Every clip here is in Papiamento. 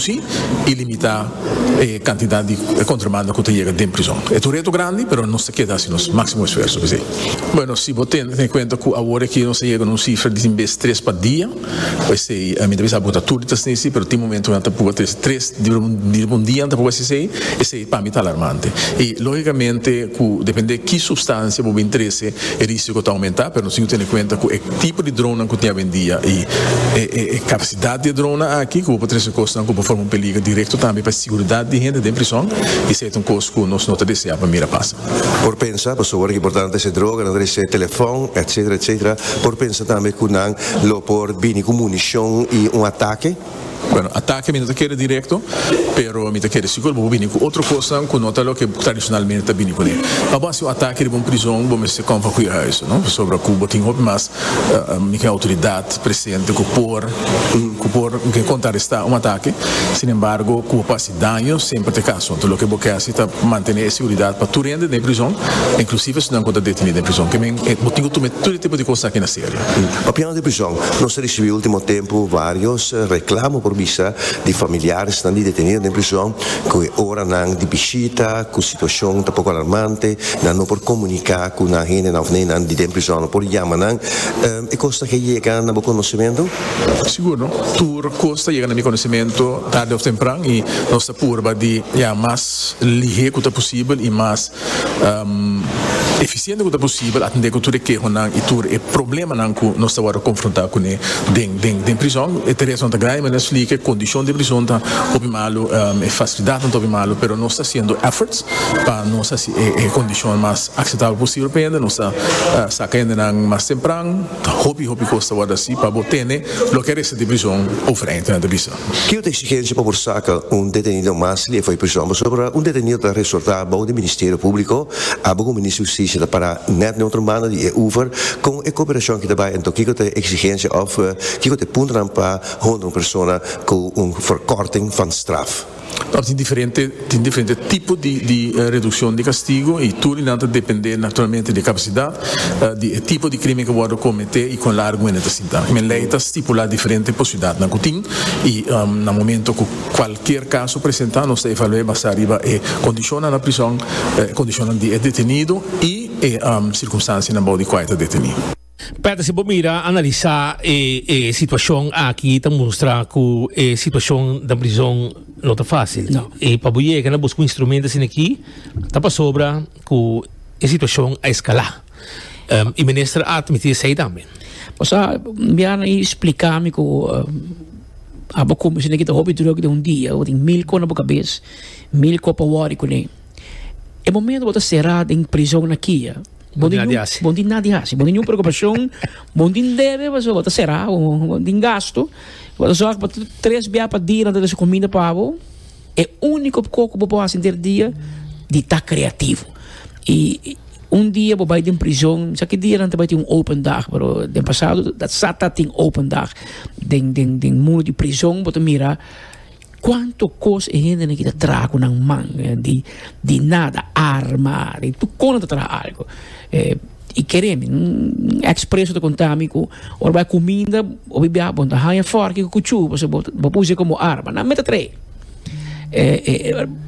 si y limita e cantidad di contrabando cu ta yega den prizon. E ta un reto grandi pero nos ta keda haci nos maximo esfuerso p'esey. Bueno, si bo tene en cuenta cu awor aki nos a yega na un cifra di tin bes tres pa dia, p'esey mi ta bisa bo ta tur di ta hacesey pero tin momentonan ta proba ta hacesey tres di un dia, ta proba hacesey. Pa mi ta alarmante. I lógicamente cu depende ki substancia bo bin trece e risico ta aumenta, pero nos tin cu tene cuenta cu e tipo di dronnan cu tin awendia i e capacidad di e dronnan aki cu bo por trece cosnan cu por forma un peligro directo tambe pa e siguridad di hende den prison i esey ta un cos cu nos no ta desea pa mira pasa. Por pensa, pasobra ta importante esey droga nan ta trece telefon etcetera etcetera por pensa tambe cu nan lo por bini cu municion i un ataque. Bueno, atake mi no ta kere directo, pero mi ta kere si cu bo bini cu otro cosnan cu no ta loke bo tradicionalmente ta bini cune. Pa bo haci un atake riba un prizon bo mester com pa cu e huis, no? Pasobra cu bo tin hopi mas mica autoridad presente cu por, cu por, mi ke contraresta un atake, sin embargo cu bo por haci. Daño semper ta caso, enton loke bo ke haci ta mantene e seguridad pa tur hende den e prizon, inclusive esunnan cu ta deteni den e prizon. Ke men bo tin cu tuma tur e tipo di cos aki na serio. Papiando di prizon, nos a ricibi ultimo tempo varios reclamo por bisa di familiaresnan di detenido den prizon cu e oranan di bishita cu situacion ta poco alarmante, nan no por comunica cu nan hendenan of neinan di den prizon no por yama nan. E kos ta ke yega na bo konosementu? Sigur no. Tur kos ta yega na mi konosementu tardi òf tempran i nos ta purba di ya mas lihé ku ta posibel i mas efisiente ku ta posibel atendé ku tur e kehonan i tur e problemanan ku nos ta wòrdu konfrontá kuné den prizòn. E tareanan ta grandi manera splika, e kondishon den prizòn ta hopi malu, e fasilidatnan ta hopi malu pero nos ta hasiendo èfforts pa nos hasi e kondishon mas Akseptabel posibel pa hende nos ta saka hendenan mas tempran, ta hopi hopi kos ta wòrdu hasi pa bo tene loke resta di prison, overheid nan ta bisa. Kiko ta exigensia pa por saka un detenido mas lefo di prison? Pasobra un detenido ta resortá bou di Ministerio Públiko, abo ku Minister Hustisia ta pará nèt neutro mano di e over, kon e koperashon ki ta bai anto kiko ta e exigensia òf kiko ta e puntonan pa honra un persona ku un verkorting van straf? Ora tin diferente tin diferente tipo di di reduccion di castigo y tur esnan ta depende naturalmente di e capacidad di e tipo di crimen cu wordo comete y con largo hende ta sinta. Primer ley ta stipula diferente posibilidadnan cu tin y na momento cu cualkier caso presenta nos ta evaluae basa riba e condicionnan na prison, e condicionnan di e detenido y e circunstancianan bou di cua e ta deteni. Peter, si bo mira, analisa e e situacion aki ta mustra cu e situacion den prison no ta facil. No. Y pa bo yega na busca un instrumento asin'aki ta pasobra cu e situacion a escala. Em, y minister a admiti esey tambe. Bo sa, Biana y splica mi cu abo cume asin'aki ta hopi druk den un dia. Bo tin mil con na bo cabes, mil co pa wori cune. E momento bo ta cera den prison na kia, Bon di nadi hasi. Bon di nadi hasi. Bon di niun preocupacion. Bon di debe pa so ta sera. Bon di gasto. Bo ta zorg pa tres bia pa dia nan ta desa comida pa bo. E unico co cu bo por hasi der dia di ta creativo. Y un dia bo bay den prison, mi sa ki dia nan ta bay tin un open dag, pero den pasado sa ta tin open dag. Den den den muro di prison bo ta mira Cuanto cos e hendenan ki ta traha cu nan man di di nada, arma, di tur cona ta traha algo. Y kere mi, un ex preso ta conta mi cu ora bo a cuminda bo bibia bo ta haya forki cu cuchu pasobra bo bo ta usa como arma. Nan mete trae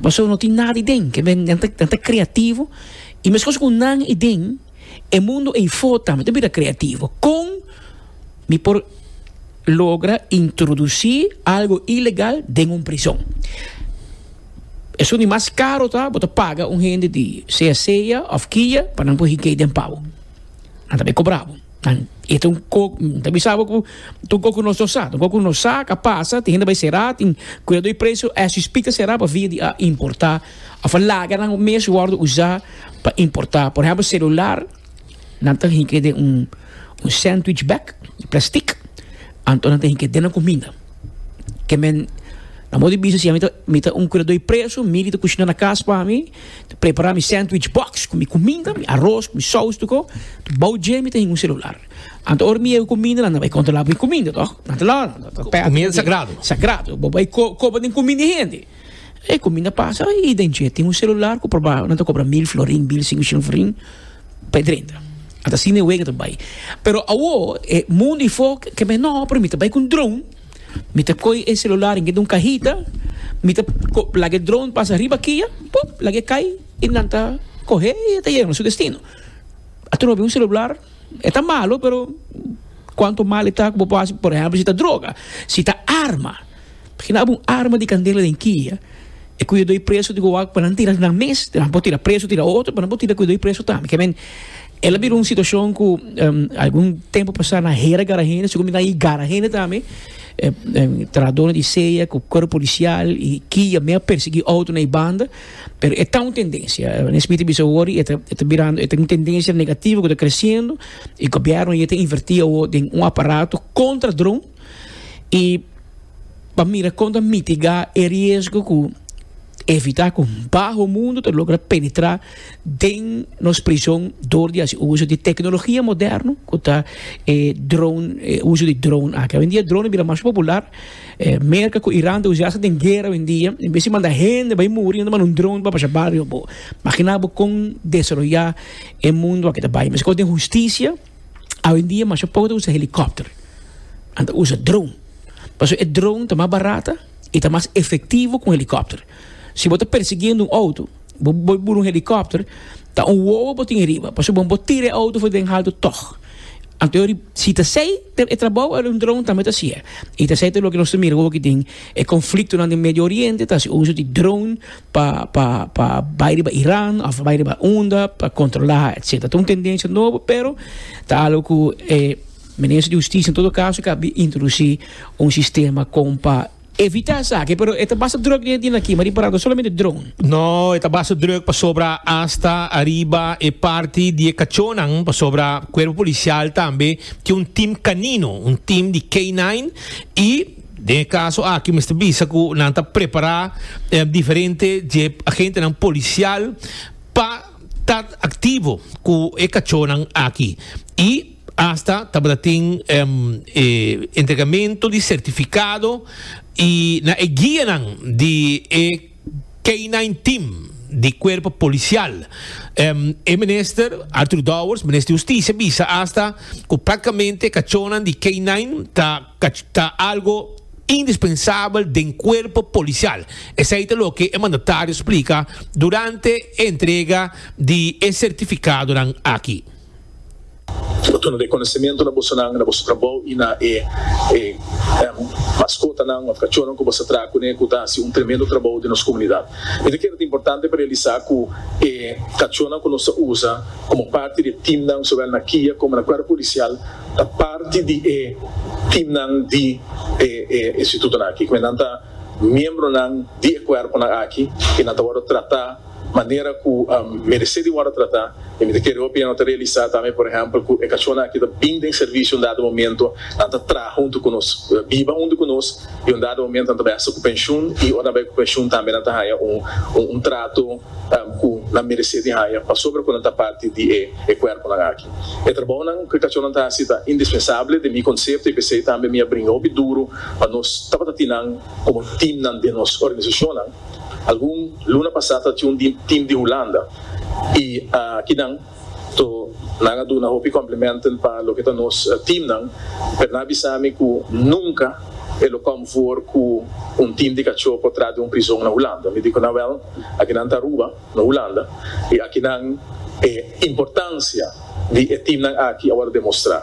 pasobra no tin nada den, nan ta creativo y mescos cu nan y den. e mundo ei for tambe ta bira creativo. Con mi por logra introduci algo ilegal den un prison? Esun di mas caro ta bo ta paga un hende di sea sea of kia pa nan por hikey den pabo. Nan ta bay cobra bo. Nan e ta un co, mi ta bisa bo cu ta un coco nos no sa. Ta un coco nos sa cu a pasa. Tin hende bay cera, tin cuidado di preso as we speak ta cera pa via di a importa. Of laganan o mes worde usa pa importa. Por ehempel celular nan ta hike den un sandwich bag di plastic anto nan ta hike den nan cuminda. Ke men nan mos di bisa si mi ta un cuidador di preso mi di ta cushina na cas pa mi ta prepara mi sandwich box cu mi cuminda, mi aros cu mi saus tucu bao dje mi ta hike un celular. Anto ora mi yega cuminda nan ta bay controla mi cuminda toh. Nan ta lo. Cuminda sagrado. Sagrado bo bay coba den cuminda di hende. E ku mi na pasa i den dje tin un selular ku proba nan ta kobra mil florin mil sinku shilling florin pa e drenta a ta sine wei ku ta bai pero awo e mundo i fo ke men no pero mi ta bai ku un dron mi ta koy e selular dentro di un kahita mi ta laga e dron pasa riba kia pop laga e kai i nan ta kohe i ta yega na su destino ato no bin un selular e ta malo pero kuantu mal e ta ku bo por hempel si ta droga si ta arma. Hinaba un arma di kandela den kia, e kuidadó i preso di Gowaak pa nan tira nan mes, nan por tira preso, tira otro, pero nan por tira kuidadó i preso tambe. Ke men, el a bira un situashon ku algun tempu pasá nan hera gara hende, segun mi ta i gara hende tambe, trahadónan di sea ku kuerp polisial i kia mei a persiguí outronan i banda, pero e ta un tendensia. Nesbit a bisa wòrdu i e ta e ta birando e ta un tendensia negativo ku ta kresiendo i gobièrnu ayí ta invertí awo den un aparato kontra dron, i pa mira kon ta mitigá e riesgo ku evitá ku baho mundu ta logra penetrá den nos prison dor di hasi uso di teknologia moderno ku ta e drone e uso di drone aki. Awendia drone a bira mas popular, Merka ku Iran ta usá sa den guera awendia, en bes di manda hende bai muri nan ta manda un drone pa pasha bario bo. Imaginá bo kon desaroyá e mundu aki ta bai. Meskos den hustisia. Awendia masha poco ta usa helicopter, anto ta usa drone. Pasobra e drone ta mas barato y ta mas efectivo cu helicopter. Si bo ta persiguiendo un auto, bo bo bura un helicopter, ta un wowo bo tin ariba, pasobra bo bo tira e auto for den halto tog. Anto yo riba, si ta asey e trabou el un drone tambe ta haci'e. Y ta esey ta loke nos ta mira awobo aki den e conflictonan den Medio Oriente, ta haci uso di drone. pa pa pa bai riba Iran of bai riba unda pa controla etcetera ta un tendencia nobo pero ta algo cu e minister di justicia en todo caso ke a bin introduci un sistema con pa evita esaki pero e ta basta drug den e tin aki ma di parado solamente drone. No e ta basta drug pasobra hasta ariba e parti di e cachonan pasobra cuerpo policial tambe tin un team canino un team di K nine y Den e kaso aki mester bisa ku nan ta prepará diferente dje agentenan polisial pa ta aktivo ku e kachónan aki i asta tabata tin e entregamentu di sertifikado i na e guianan di e. K-nine team di cuerpo policial. E minister Arthur Dowers, minister di Husticia, bisa hasta cu practicamente e cachonnan di K-nine ta ta algo indispensabel den cuerpo policial. Esey ta loke e mandatario splica durante e entrega di e certificadonan aki. Bo tuna rekonesementu na bosonan, na boso trabou i na e e maskotanan òf kachónan ku bo sa traha kuné ku ta hasi un tremendo trabou den nos komunidat. Mi ta kere ta importante pa realisá ku e kachónan ku nos ta usa komo parti di e timnan sowel na kia komo na kuerpo polisial ta parti di e timnan di e e institutonan akí, kume nan ta miembronan di e kuerponan akí i nan ta wòrdu tratá. manera ku meresé di wòrdu tratá, i mi ta kere hopi nan lo ta realisá tambe, por ehèmpel, ku e kachónan aki ta bini den servisio un dado momento, nan ta traha huntu ku nos, biba huntu ku nos, i un dado momento nan ta bai hasta ku penshun, i ora nan bai ku penshun tambe nan ta haña un trato ku nan meresé di haña pasobra ku nan ta parti di e kuèrpunan aki. E trabounan ku e kachónan ta hasi ta indispensabel den mi konsepto, i p'esei tambe mi a bringa hopi duru pa nos tabata tin nan komo timnan den nos organisashonnan. Algun luna pasá ta tjun di tim di Hulanda i akinan to nan a duna hopi complimenten pa loke ta nos timnan, pero nan a bisa mi ku nunka e lo kom for ku un tim di kachó por trat di un prizon na Hulanda. Mi di ku nan, Wèl, akinan ta Aruba. Na Hulanda, e akinan e importancia di e teamnan aki a wòrdu demostrá.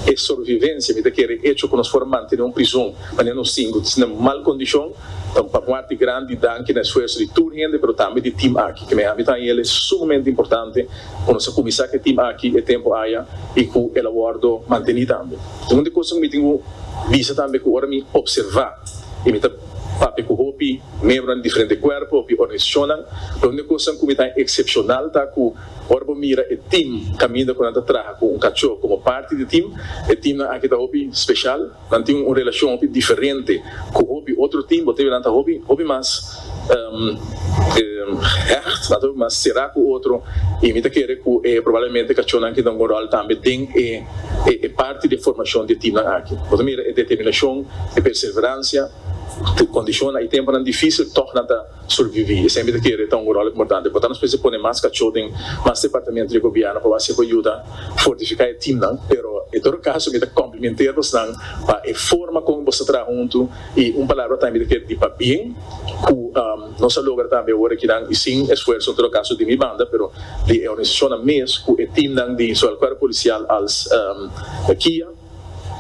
E sorvivencia mi ta kere e hecho ku nos por mantené un prizon manera nos tin ku tin den mal kondishon ta un parti grandi di danki na esfuerso di tur hende pero tambe di team aki. Kineha mi ta haña el e sumamente importante ku nos a kuminsá ku e team aki e tempu aya i ku el a wòrdu mantení tambe. Un di kos ku mi tin ku bisa tambe ku ora mi observá i mi ta. Papia ku hopi membronan di diferente kuerpo, hopi organisashonnan. Lo un di e kosanan ku mi ta eksepshonal ta ku ora bo mira e tim kaminda ku nan ta traha ku un kachó komo parti di tim, e timnan aki ta hopi speshal. Nan tin un relashon hopi diferente ku hopi otro tim. Bo ta mira nan ta hopi, hopi mas hecht, nan ta hopi mas será ku otro. I mi ta kere ku e probablemente kachónan aki ta juga un ròl tambe den e. E parti di e formashon di e timnan aki. Bo ta mira e determinashon, e perseveransha, te kondishonnan i tempunan difísil, tòg nan ta surbiví. E semper ta kere e ta un ròl importante. Bo ta nos mester pone mas kachó den mas departamentu di e gobièrnu pa bo hasi bo yuda fortifiká e timnan. Pero, en todo kaso, mi ta kòmplimenté bosnan pa e forma kon boso traha huntu i un palabra ta mi ta kere di pabien ku. Nos a logra tambe awor aki nan y sin esfuerso en todo caso di mi banda pero di e organisacionnan mes cu e teamnan di zowel Cuerpo Policial als Kia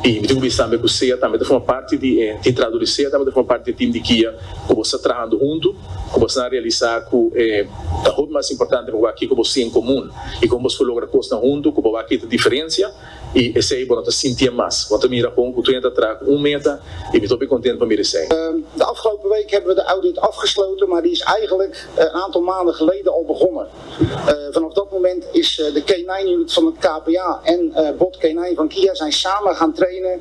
y mi tin cu bisa tambe cu sea tambe ta forma parti di e tin traha dor di sea tambe ta forma parti di e team di Kia cu bo sta trahando hunto cu bo asina realisa cu e ta hopi mas importante pa bo a kico bo si en comun y con bo por logra cosnan hunto cu bo a kita diferencia. I esei bo no ta sintié mas. Bo ta mira bon ku Twente ta traha ku un meta i mi ta hopi kontent pa mira esei. De afgelopen week hebben we de audit afgesloten, maar die is eigenlijk een aantal maanden geleden al begonnen. Vanaf dat moment is de K-nine unit van het KPA en Bot K-nine van Kia zijn samen gaan trainen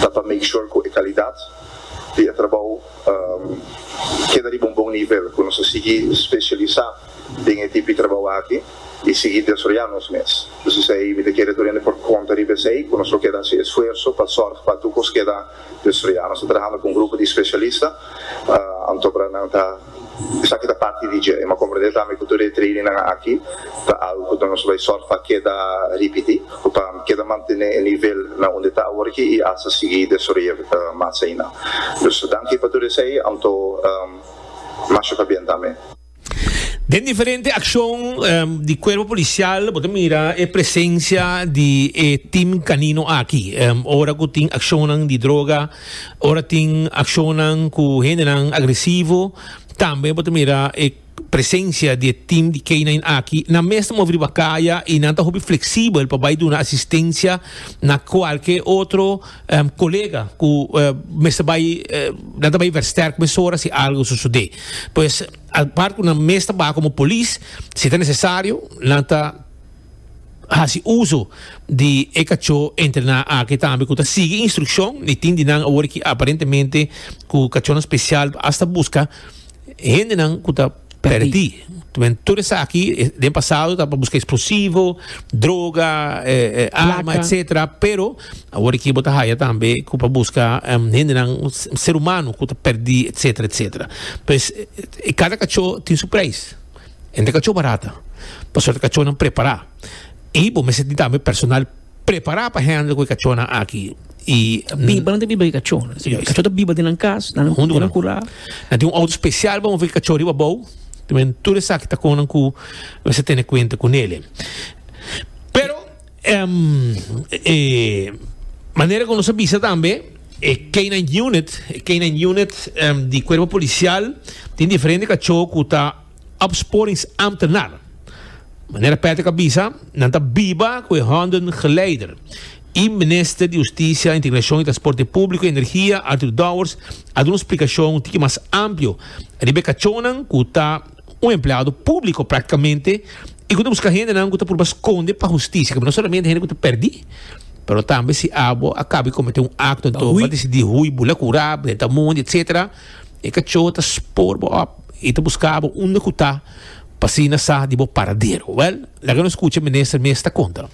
ta pa make sure cu e calidad di e trabao keda riba un bon nivel, cu nos ta sigui specialisa den e tipo di trabao aki y sigui desroya nos mes. Dus esey mi ta kere tur hende por conta riba esey, cu nos lo keda haci esfuerso pa zorg pa tur cos keda desroya. Nos ta trahando cu un grupo di specialista, anto para nan ta. Esaki ta parti di dje. E m'a comprende tambe cu tur e trainingnan aki ta algo cu ta nos bay sor pa keda ripiti cu pa keda mantene e nivel na unda e ta awor aki y hasta sigui desoroya mas ayina. Dus danki pa tur esey anto masha pa bien tambe. Den diferente accion di Cuerpo Policial bo ta mira e presencia di e team canino aki ora cu tin accionnan di droga. Ora tin accionnan cu hendenan agresivo, tambe bo ta mira e presencia di e team di K-nine aki. Nan mes ta movi riba caya y nan ta hopi flexibel pa bay duna asistencia na cualke otro colega cu mester bay, nan ta bay versterk mesora si algo sucede. Pues apart cu nan mes ta bay como polis, si ta necesario nan ta. hasi uso di e kachó entrená aki tambe ku ta sigui instrukshon i tin di nan awor ki aparentemente ku kachónan spesial asta buska hendenan ku ta pèrdí. Tambe tur esaki den pasado ta pa buska eksplosivo, droga, arma etsetera pero awor aki bo ta haya tambe ku pa buska hendenan ser humano ku ta pèrdí etsetera etsetera. Pues kada kachó tin su preis. Hende ka cho barata, pasobra e kachonan prepará. I bo mester tin tambe personal prepará pa hèndel ku e kachonan aki. I Biba, nan ta biba ku e kachó. E kachó ta biba den nan kas, nan huntu ku nan kurá. Nan tin un outo spesial pa moví e kachó riba abou. Tambe tur esaki ta kon nan ku mester tene kuenta ku neli. Pero. Em, e manera ku nos a bisa tambe, e K-9 unit, e K-9 unit em, di kuerpo polisial tin diferente kachó ku ta opsporingsamptenaar. Manera Patrick a bisa, nan ta biba ku e honden geleider. I Minister di Hustisia, Integrashon i Transporte Públiko i Energia, Arthur Dowers, a duna splikashon un tiki mas amplio riba e kachónan ku ta un empleado públiko praktikamente i ku ta buska hendenan ku ta purba skonde pa hustisia, kaba no solamente hende ku ta pèrdí, pero tambe si abo a kaba di kometé un akto enton bo a disidí hui bo la kurá, bo drenta mundi etsétera, e kachó ta spoor bo òp i ta buska bo unda ku ta pa asina sa di bo paradero. Wèl, laga nos kucha Minister mes ta konta.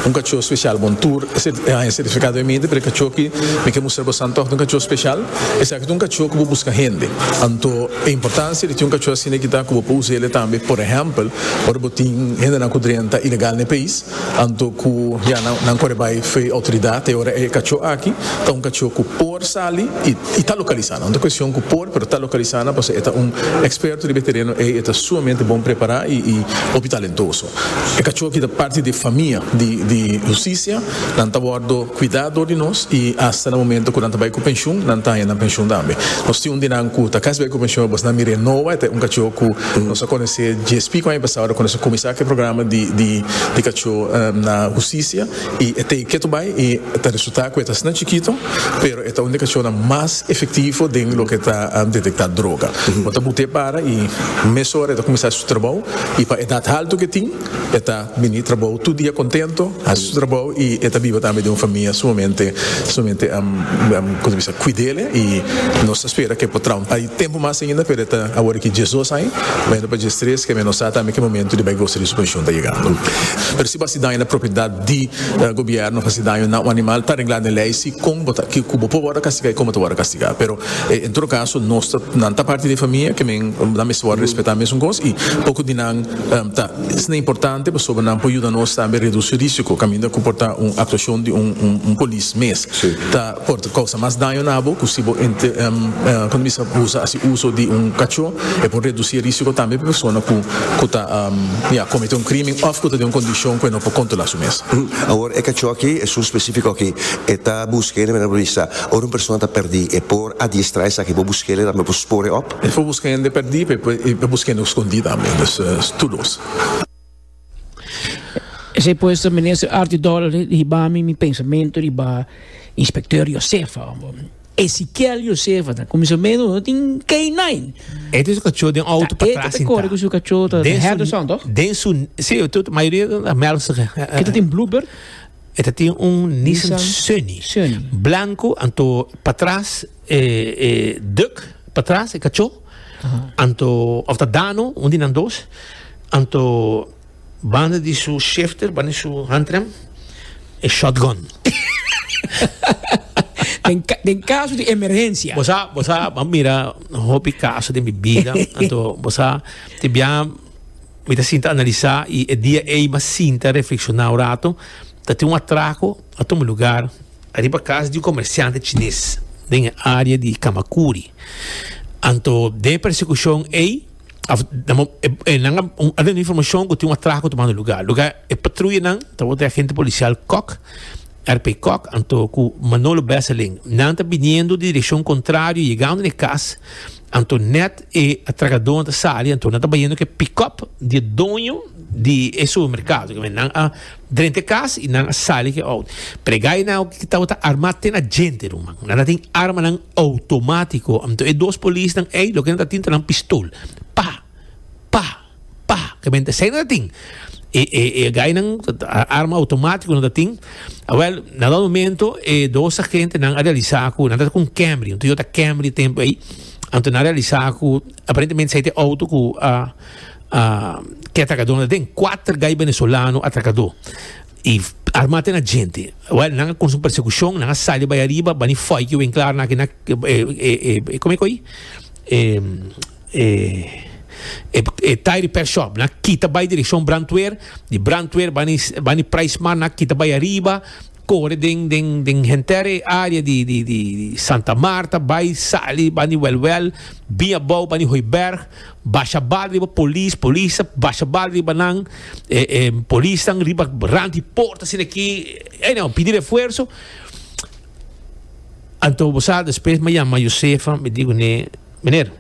Un kachó speshal bon tur e haña sertifikado e minte pero e kachó ki mi ke mustra boso antoh ta un kachó speshal esaki ta un kachó ku bo buska hende anto e importansia di tin un kachó asina ki ta ku bo por usa ele tambe por ehèmpel ora bo tin hendenan ku drenta ilegal na e pais anto ku ya nan kore bai fe'i outoridat te ora e kachó aki ta un kachó ku por sali i ta lokalisá nan no ta kuestion ku por pero ta lokalisá nan pasobra e ta un eksperto riba e tereno ei e ta sumamente bon prepará i hopi talentoso. E kachó ki ta parti di e famia di Hustisia, nan ta wòrdu kuidá dor di nos i asta na momentu ku nan ta bai ku penshun, nan ta haña nan penshun tambe. Nos tin un di nan ku ta kasi bai ku penshun e bosnan mir'é Noah, e ta un kachó ku nos a kones'é JSP ku aña pasá ora ku nos a kuminsá ku e programa di kachó na Hustisia. y e take to bay y ta resulta cu e ta sna chikito pero e ta un di e cacionnan mas efectivo den loke ta detecta droga. Bo ta bute para y mes ora e ta cuminsa haci su trabou y pa edad halto cu e tin e ta bini trabou tur dia contento haci su trabou y e ta biba tambe den un famia sumamente sumamente cu ta bisa cuidele y nos ta spera cu e por traha un. Tempu mas ainda pero e ta awor ki djes dos aña, ma e no pa djes tres kemia no sa tambe ki momento di bai gosa di su penshon ta yegando. Pero si bo hasi daño na propiedad di gobièrnu, hasi daño na un animal ta reglá den lei si kon bo ta, ku bo por wòrdu kastigá i kon bo ta wòrdu kastigá. Pero en todo kaso nos ta, nan ta parti di e famia ke men, nan mester wòrdu respetá mesun kos i poko di nan ta esnan importante pasobra nan por yuda nos tambe redusi risiko kaminda ku por ta un aktuashon di un polis mes ta. Por ta kousa mas daño na bo ku si bo kominsá hasi uso di un kachó. E por redusí e rísiko tambe pa persona ku ta kometé un krímen òf ku ta den un kondishon ku e no por kontrolá su mes. Awor, e kachó akí, esun spesífiko akí, e ta buska e hende manera bo bisa. Ora un persona ta pèrdí, e por adiestrá esaki, bo buska el, e tambe bo spor e òp. E por buska hende pèrdí, pero e por buska hende ku skondí tambe. Dòs tur dos. Esei pues ta Minister Artie Dollar riba mi, mi pensamento riba Inspecteur Josefa. Ezekiel Josefa ta comisamento no tin K9. E te su cachorro den auto pa atrás sentado. corre con su cachorro ta Henderson toch? Den su, sí, tot mayoría ta Melkse. E ta tin Bluebird? E ta tin un Nissan Sunny. Sunny. Blanco, anto pa atrás e e duck pa atrás e cachorro. Anto, of ta dano, un di nan dos, anto banda di su shifter, banda di su handrem, e shotgun. Den, den caso di emergencia. Bosa, bosa, a mira hopi caso den mi vida. Anto, bosa, te bia, mi ta sinta analisa y e dia ey ma sinta reflexiona un rato. Ta tin un atraco, a tuma lugar. Ariba cas di un comerciante chines den e area di Camacuri, anto den e persecucion ey af e nan a a tene informacion cu tin un atraco tumando lugar. Lo ca e patruyanan tabata e agente policial Kok, RP Kok, anto cu Manolo Besseling, nan ta biniendo di direccion contrario yegando na e cas anto net e atracadonan ta sali anto nan ta bayendo cu e pick-up di e doño di e supermercado, cu nan a Drenta e cas y nan a sali cu e auto. Prega y nan oki cu tabata arma te na djente ruman. Nan a tin armanan automatico. Anto e dos polisnan ey loke nan ta tin ta nan pistol. Pa! Pa! Pa! Ke mente esey nan ta tin. E e e gainan ta arma automatico nan ta tin. Awel, na dado momento e dos agentenan a realisa cu nan tabata cu un Camry, un Toyota Camry e tempo ey. Anto nan a realisa cu aparentemente esey ta e auto cu a. uh, ke atracador na den cuatro gai venezolano atracador y armate na gente well nanga con su persecución nanga sali bay arriba bani foy que wen klaar na que na eh, eh, eh, como é que eh, eh, eh, eh, tire repair shop na kita bay dirección brandweer di brandweer bani bani price man na kita bay arriba Kore den den den henter e área di di di di Santa Marta, bai sali bani Wèlwèl, bin abou bani Hooiberg, basha bal riba polis, polis a basha bal riba nan, e e polisnan riba rant di por asina aki, anyhow pidi refuerso. Anto bo sa despues mi a yama Josefa mi diku ne, Meneer.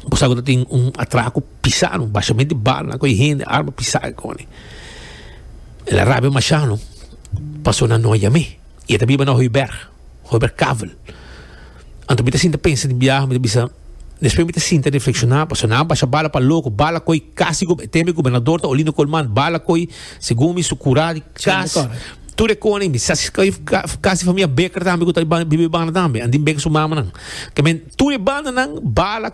bo sa ku ta tin un atraku pisa no bashamente bal nan ku e hende arma pisa e koni el a rabia masha no paso nan no a yam'e i e ta biba na hoiberg hoiberg kavel anto mi ta sinta pensa di biaha mi ta bisa despues mi ta sinta reflekshoná paso nan a basha bala pa loko bala koi kasi teme gobernador ta olinda kolman bala koi segun mi su kura di kas tur e koni mi sa kasi famia beker tambe ku ta biba e banda tambe andia beker su mamanan. Tur e bandanan bala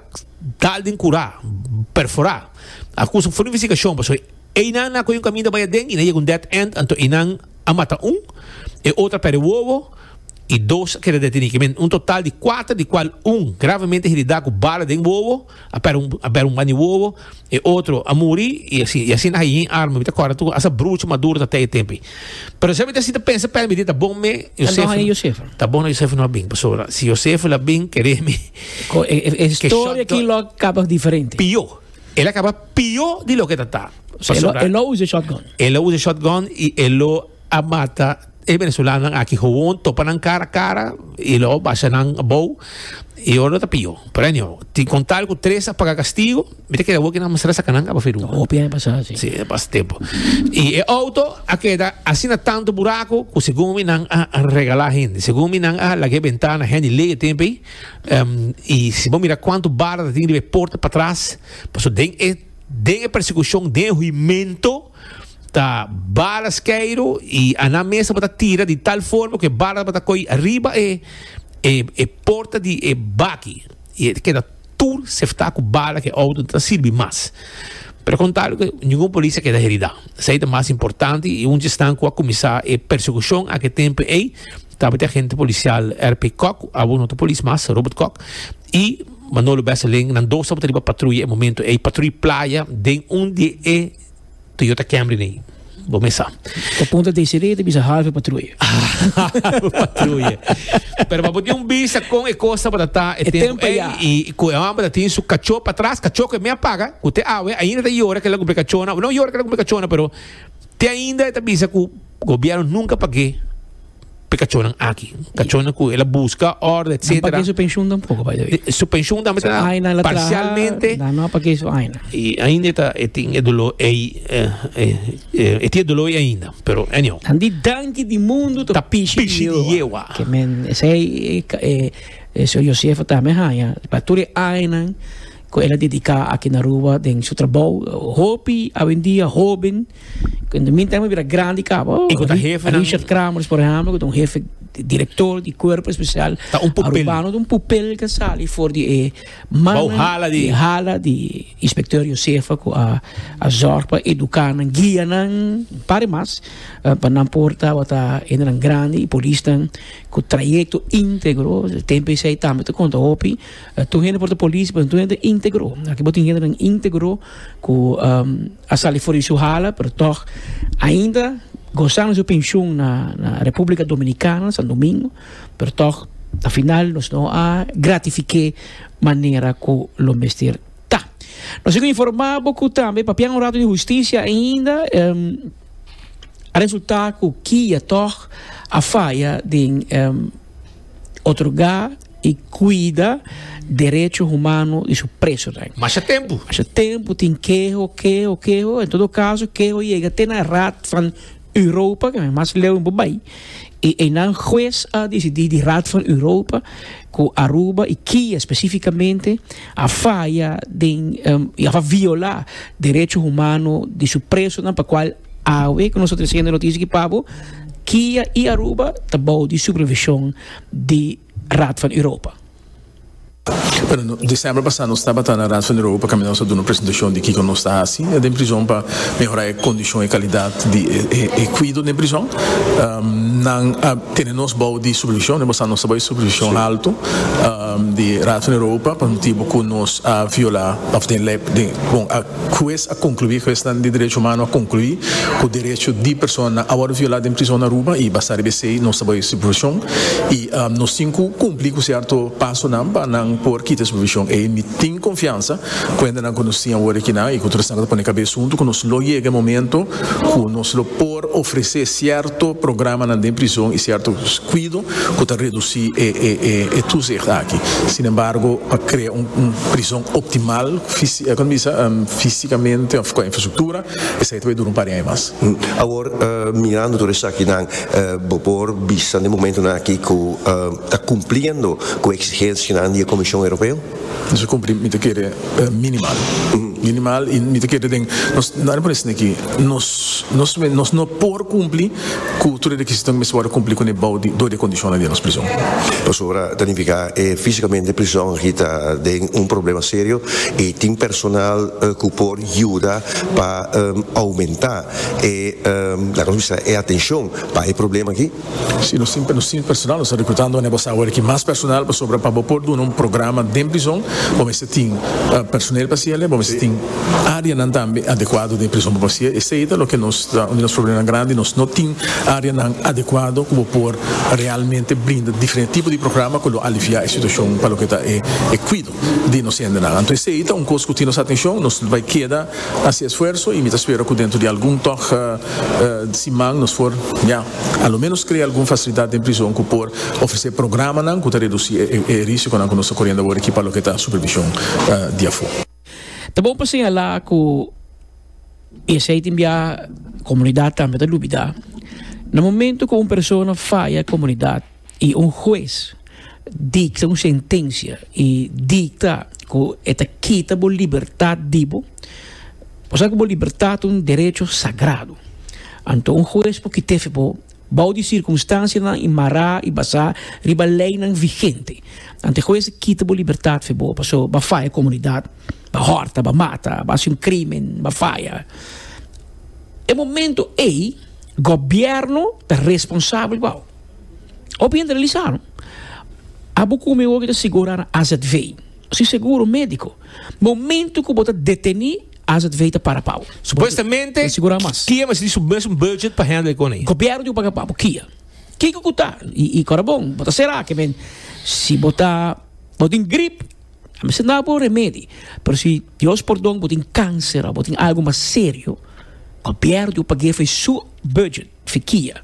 tal den kurá, perforá. A kusa for di investigashon pasobra einan nan a kohe un kaminda bai aden i nan yega un dead end anto einan a mata un, e otro a pèrdè wowo i dos a keda detené. Ke men un total di kuater di kual un gravamente heridá ku bala den wowo, a pèrdè un banda di wowo. E otro a muri y así, y así na hayin arma. Mi ta corda tu asa brucho maduro ta tei tempi. Pero sa mi ta si ta pensa pè mi di ta bon me Josefo. Anto haya Josefo. Ta bon na Josefo no a bin. Paso si Josefo la bin kere mi. Ko e, e, e historia ki lo kaba diferente. Pio. El a kaba pio di lo ke ta ta. Paso el lo usa shotgun. El lo usa shotgun y el lo a mata e venezolanonan aki gewoon topa nan cara cara y lo basha nan bou y ora lo ta pio premio tin con tal cu tres a paga castigo mi ta keda awor kinan masara saca nan caba firuma hopi aña pasa si si pas tempo y e auto a keda asina tanto buraco cu segun mi nan a regala hende segun mi nan a laga e bentana hende ley e tempo ey y si bo mira cuanto bala ta tin riba e porta patras pasobra den e den e persecucion den e huimento ta bala skeiru y Aná mes tabata tira di tal forma cu e bala tabata coy riba e e porta di e baki y e ta keda tur sefta cu bala cu e auto no ta sirbi mas. Pero con tal cu ningun polis a keda heridá. Esey ta mas importante y un dje esnan cu a cuminsa e persecucion aki tempo ey tabata e agente policial RP Kok, awo no ta polis mas, Robert Kok, y Manolo Besselin. Nan dos tabata riba patruya e momento ey, patruya playa den un di e Toyota Camry nei. Bo me sa. Ta punta Desiree ta bisa halve patruye. halve patruye. Pero pa bo tin un bisa con e cosa para ta e, e tempo ei, ya. y cu e hombre tin su cacho para atrás, cacho que me apaga, cu te awe ainda ta llora que la cumple cachona, no llora que la cumple cachona, pero te ainda ta bisa cu gobierno nunca pague P'e cachonnan aki. Cachonnan cu el a busca orde, Nan etcetera. pagué su pensioen tampoco, by the way. Su pensioen tambe So, ta aina el a traha, parcialmente. nan no a pagué su aina. Y ainda e ta e tin e dolor ey, eh, eh, eh, e tin e dolor ey ainda. Pero anyhow. Nan di danki di mundu ta Ta pishi di pishi di Jehoa. Jehoa. Ke men, esei e ka- e e señor Josefa tambe haña pa tur e añanan ku el a dediká aki na Aruba den su trabou. Hopi awendia hóben In the meantime a bira grandi cabo. Y con jefe Richard Kramers, por ejemplo, con un jefe director di cuerpo especial. Ta un pupel. Arubano un pupel que sali voor di e man. hala di. Hala di inspecteur Josefa ku a a zorg pa educa nan, guia nan, pare mas pa nan por tabata endenan grandi y polis nan ku trayecto integro. Tempo esei tambe ta conta hopi. Tur hende por ta polis, pero tur hende integro. Aki bo tin hende nan integro. cu a sali for di su hala pero toch ainda gozando su pensioen na Republica Dominicana Santo Domingo pero toch a final nos no a gratifique manera cu lo mester ta. Nos a informa bo cu tambe papia un rato di justicia ainda a resulta cu Kia toch a faya den otorga i cuida derecho humano di su presonan. Masha tempu. Masha tempu tin keho, keho, keho. En todo caso keho yega te na Raad van Europa, ke mas leu no por bai. I einan huez a decidi di Raad van Europa cu Aruba i Kia specificamente a faya den um i a viola derecho humano di su presonan pa cual awe cu nos ta treciendo noticia aki pabo Kia i Aruba ta bou di supervision di Raad van Europa. Bueno, december pasa nos tabata na Raad van Europa cami nos a duna presentacion di kico nos ta haci den prison pa mehora e condicion, e calidad di e cuido den prison. Nan a tene nos bao di supervision, den pasa nos ta bao di supervision alto di Raad van Europa pa motibo cu nos a viola of den ley, bon, a. Hues a konkluí, Huesnan di Derecho Humano a konkluí ku derecho di personanan a wòrdu violá den prizon na Aruba i basá riba esei nos ta bai si provishon i nos tin ku kumpli ku sierto pasonan pa nan por kita si provishon ei. Mi tin konfiansa kuendanan ku nos tin awor akinan i ku tur esnan ku ta pone kabes huntu ku nos lo yega e momento ku nos lo por ofresé sierto programanan den prizon i sierto kuido ku ta redusí e tusig aki. Sinembargo pa krea un prizon optimal. economisa fisicamente of con infrastructura esai ta bay duro un par di aña mas. Awor mirando tur esakinan bo por bisa den e momentonan aki cu ta cumpliendo cu e exigencianan di e Comision Europeo? Nos a cumpli mi ta kere minimal, minimal y mi ta kere den nos nan a pone asina aki nos nos nos no por cumpli. Cu tur e requisito nan mester worde cumpli cu nebao di door di e condicion nan den nos prison. Pasobra ta nifica e fisicamente prison aki ta den un problema serio y tin personal cu por yuda pa aumenta e laga nos bisa e atencion pa e problema aki. Si nos tin nos tin personal nos ta recrutando aneba sa awor aki mas personal pasobra pa bo por duna un programa den prison bo mester tin personel pa haci ele, bo mester tin. áreanan tambe adekuado den e prison pa pasia. Esei ta loke nos ta un di nos probleman grandi, nos no tin áreanan adekuado ku bo por realmente brinda diferente tipo di programa ku lo aliviá e situashon pa loke ta e kuido di nos hendenan. Anto esei ta un kos ku tin nos atenshon, nos bai keda hasi esfuerso i mi ta spera ku dentro di algun tòg siman nos por ya a lo menos krea algun fasilidat den prison ku por ofresé programanan ku ta redusí e risikonan ku nos ta koriendo awor aki pa loke ta supervishon di afó. Ta bon pa señalá ku esei tin bia komunidat tambe ta dubidá. Na momentu ku un persona faya e komunidat i un hues dikta un sentensia i dikta ku e ta kita bo libertat di bo, bo sa ku bo libertat ta un derecho sagrado, anto un hues por kit'e fe bo. Bou di sirkunstansianan i mará i basá riba leinan vigente. Antehues a kita bo libertat fe bo paso bo a faya komunidat, bo a hòrta, bo a mata, bo a hasi un krímen, bo a faya. E momentu ei gobièrnu ta responsabel bou. Hopi hende ta lisa no. A bo kume hopi ta sigurá na azv, si seguro médiko. Momentu ku bo ta detené AZV ta para pa bo. Supuestamente, kia mester di su mesun budget pa handle e kona ei? Gobièrnu tin ku paga pa bo kia. Kiko ku ta? I kora bon, bo ta será ke men. Si bo ta, bo tin grip, a mester na bo remedi. Pero si, Dios pordon, bo tin kanser òf bo tin algu mas serio, gobièrnu tin ku pag'ei for su budget. Fikia.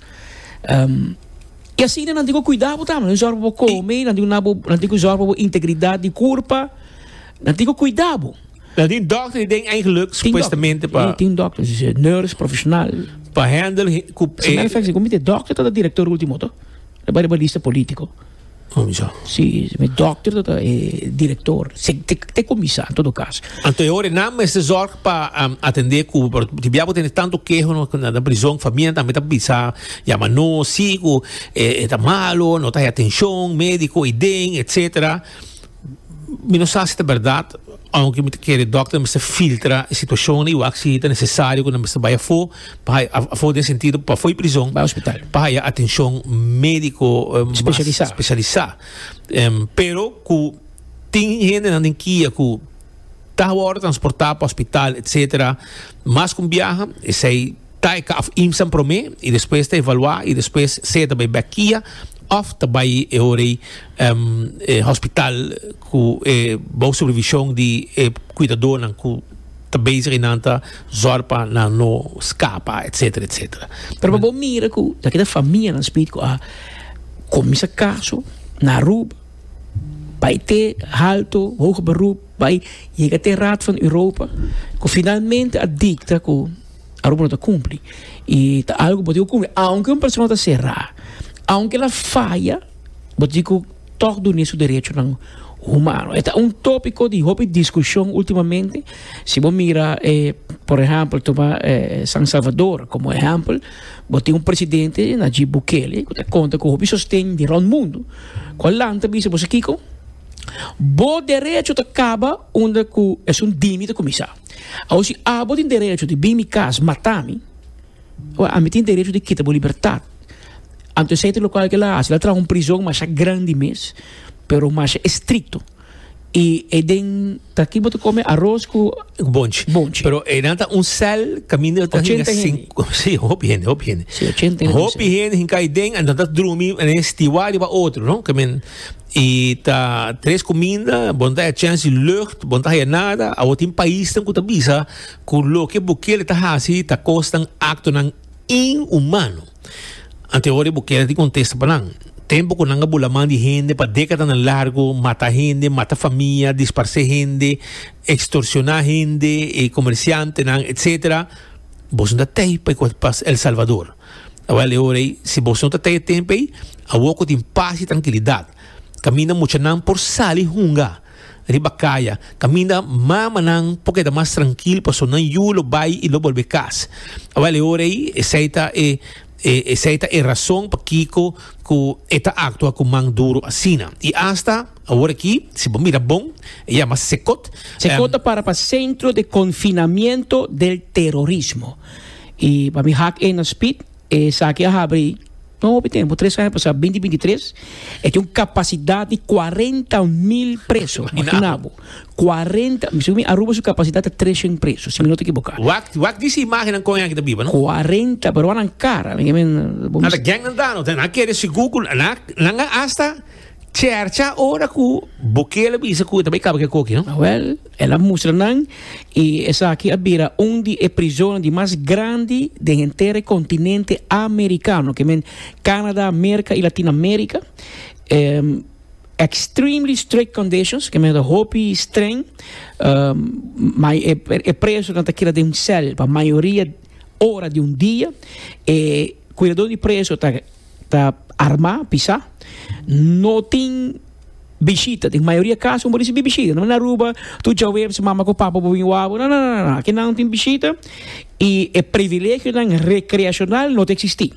I asina nan tin ku kuidá bo tambe, nan tin ku zòrg pa bo kome, nan tin ku na bo, nan tin ku zòrg pa bo integridat di kurpa, nan tin ku kuidá bo. Dan tin dokter di den eigenlijk supuestamente pa. Tin dokter, si nurse, profesional. Pa handle ku. Sin efek si ku mi te dokter ta direktor ultimo to. E bai riba lista politico. Oh, ja. Si, mi dokter ta ta e direktor. Se, te, te komisa, en todo kas. Anto e hore nan mester zorg pa um, atendé ku, por di biabo tene tanto keho no na, na prison, familia tambe ta bisa, ya ma no, siku, e, e ta malo, no ta hai atenshon, médiko, i den, etsetera. Mi no sa si ta berdad, aunke mi ta kere dokter mester filtra e situashon i wak si ta nesesario ku nan mester bai afó pa haya, afó den sentido pa afó di prizon, pa haya atenshon médiko mas speshalisá. Pero ku tin hendenan den kia ku ta wòrdu transportá pa hospital etcétera mas ku un biaha, esei. Tae kaf imsan promé i despues ta evaluá i despues sea ta bai bèk kia òf ta bai e ora ei e hospital ku e bou supervishon di e kuidadónan ku ta bezig einan ta zòrg pa nan no skapa etsetera etsetera. Pero pa bo mira ku laki ta famianan spit ku a kuminsá kaso na Aruba, bai te Alto, Hoge Beroep, bai yega te Raad van Europa ku finalmente a dikta ku. Aru bo no ta kumpli i ta algu bo tin ku kumpli aunke un persona ta será aunke el a faya bo tin ku tok dun'é su derechonan humano e ta un topiko di hopi diskushon ultimamente si bo mira por ehèmpel tuma San Salvador komo ehèmpel bo tin un presidente Najib Bukele ku ta konta ku hopi sosten di rònt mundu ku a lanta a bisa bo sa kiko bo derecho ta kaba unda ku esun dimi ta kuminsá. Awor si abo tin derecho di bin mi kas mata mi, awor ami tin derecho di kita bo libertad. Anto esei ta lokual ku el a hasi, el a traha un prizon masha grandi mes, pero masha estrikto, i e den ta ki bo ta kome aros ku Bonchi. Bonchi. Pero enan ta un sèl kaminda ta hinka Ochenta hende. sinku si hopi hende hopi hende Si, ochenta hende hopi hende hinka aden anto ta drumi enen stiwa riba otro no I mean I ta tres kuminda, bo no ta haya chèns di lùgt, bo no ta haya nada. Awor tin paisnan ku ta bisa ku loke Bukele ta hasi ta kosnan aktonan inhumano. Antehoria Bukele a tin kontesta pa nan. Tempu ku nan a bula man di hende pa dékadanan largu, mata hende, mata famia, disparsé hende, ekstorsioná hende, e komersiantenan, etcétera, boso no ta tei pa e kos pas El Salvador. Awel e ora ei, si boso no ta tege tempo ei, awor cu tin pas y trankilidad, caminda muchanan por sali hunga riba caya, caminda mamanan por keda mas trankil paso nan yu lo bay y lo bolbe cas. Awel e ora ei, esey ta e, e, esey ta e razon pakico cu e ta actua cu man duro asina. Y hasta awor aki, si bo mira bon, e yama Cecot, em. Cecot a para pa Centro de Confinamiento del Terrorismo. I pa mi hak e na spit esaki a habri no hopi tempo tres aña pasa binti binti tres e tin un kapasidat di kuarenta mil preso mi kunabo kuarenta según mi Aruba su kapasidat ta treshent preso si mi no ta ekiboká Wak wak disi imagennan kon e aki ta biba no? kuarenta peruannan kara mi ke men Nan ta gèngnan ta no ta nan a kere sigur ku nan nan a asta Chercha ora ku Bukele bisa ku e ta bai kaba ku e koki, no? Wèl, el a mustra nan i esaki a bira un di e prizonnan di mas grandi den henter e kontinente amerikano, ke men Kanada, Merka i Latin Amerika. Extremely strict conditions, ke men ta hopi streng. Mai e e presonan ta keda den un sèl pa mayoria ora di un dia. E kuidadó di preso ta Ta armá, pisá. No tin bishita. Den mayoria kaso bo risibí bishita. No na Aruba tur djaweps mama ku papa bo bin wak bo. No, no, no, no. Akinan no tin bishita i e privilegionan rekreashonal no ta eksistí.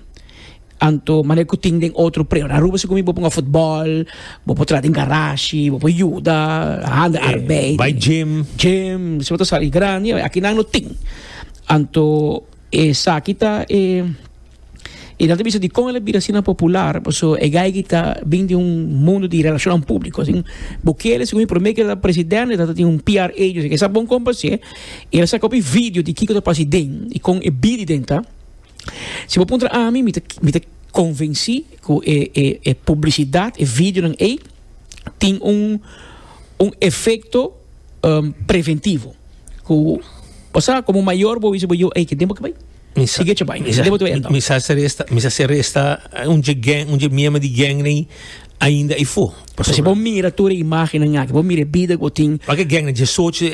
Anto maner ku tin den otro predio. Na Aruba si ku mi bo por hunga futbòl, bo por tra den garashi, bo por yuda handa arbeid. Bai jim. Jim, si bo ta sali grandi. Akinan no tin. Anto. Esaki ta e e ta ta bisa di kon el a bira asina popular, paso e geigy ta bin di un mundo di relashonnan públiko. Asina Bukele segun e promé keer ku el ta presidente ta ta tin un PR agency ku sa bon kon pas'é i el a saka hopi video di kiko ta pasa iden i kon e biri den ta. Si bo puntra ami mi ta mi ta konvensí ku e e e publisidat e videonan ei tin un un efekto. preventivo cu osea como mayor bo bisa bo yo ey kiden bo ke bay sigue cho bay kiden bo te bay enta. Mi sa mi sa si resta un dje gang un dje miembro di gang ney ainda ey fo. Pasobra si bo mira tur e imagennan aki bo mira e bida cu bo tin. Pak e gang djesocho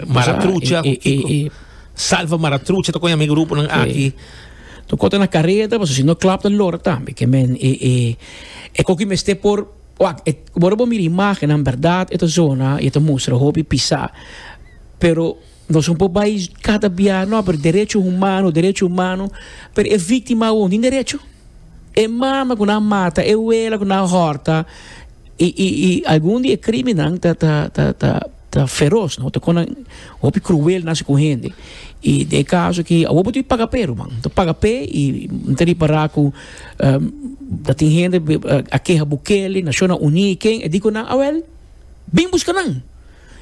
maratrucha cu kico salva maratrucha ta con ami gruponan aki. Tocota na careta pasobra si no klap ta lora tambe ke men e coki mester por. Wak, e ta, ora bo mira e imagennan, bèrdat e ta zona i e ta mustra hopi pisá. Pero nos no por bai kada bia, nò, pero derecho humano, derecho humano, pero e víktima awor no tin derecho? E mama ku nan a mata, e wela ku nan a hòrta i, i, i algun di e krímennan ta, ta, ta, ta. Ta feros, no? Ta kona hopi cruel nasi ku hende. I den e kaso aki awor bo tin paga p'e ruman. Bo ta paga p'e i mi ta ripará ku ta tin hende a keha Bukele, Nashona Uní i ken, e di ku nan awèl bin buska nan.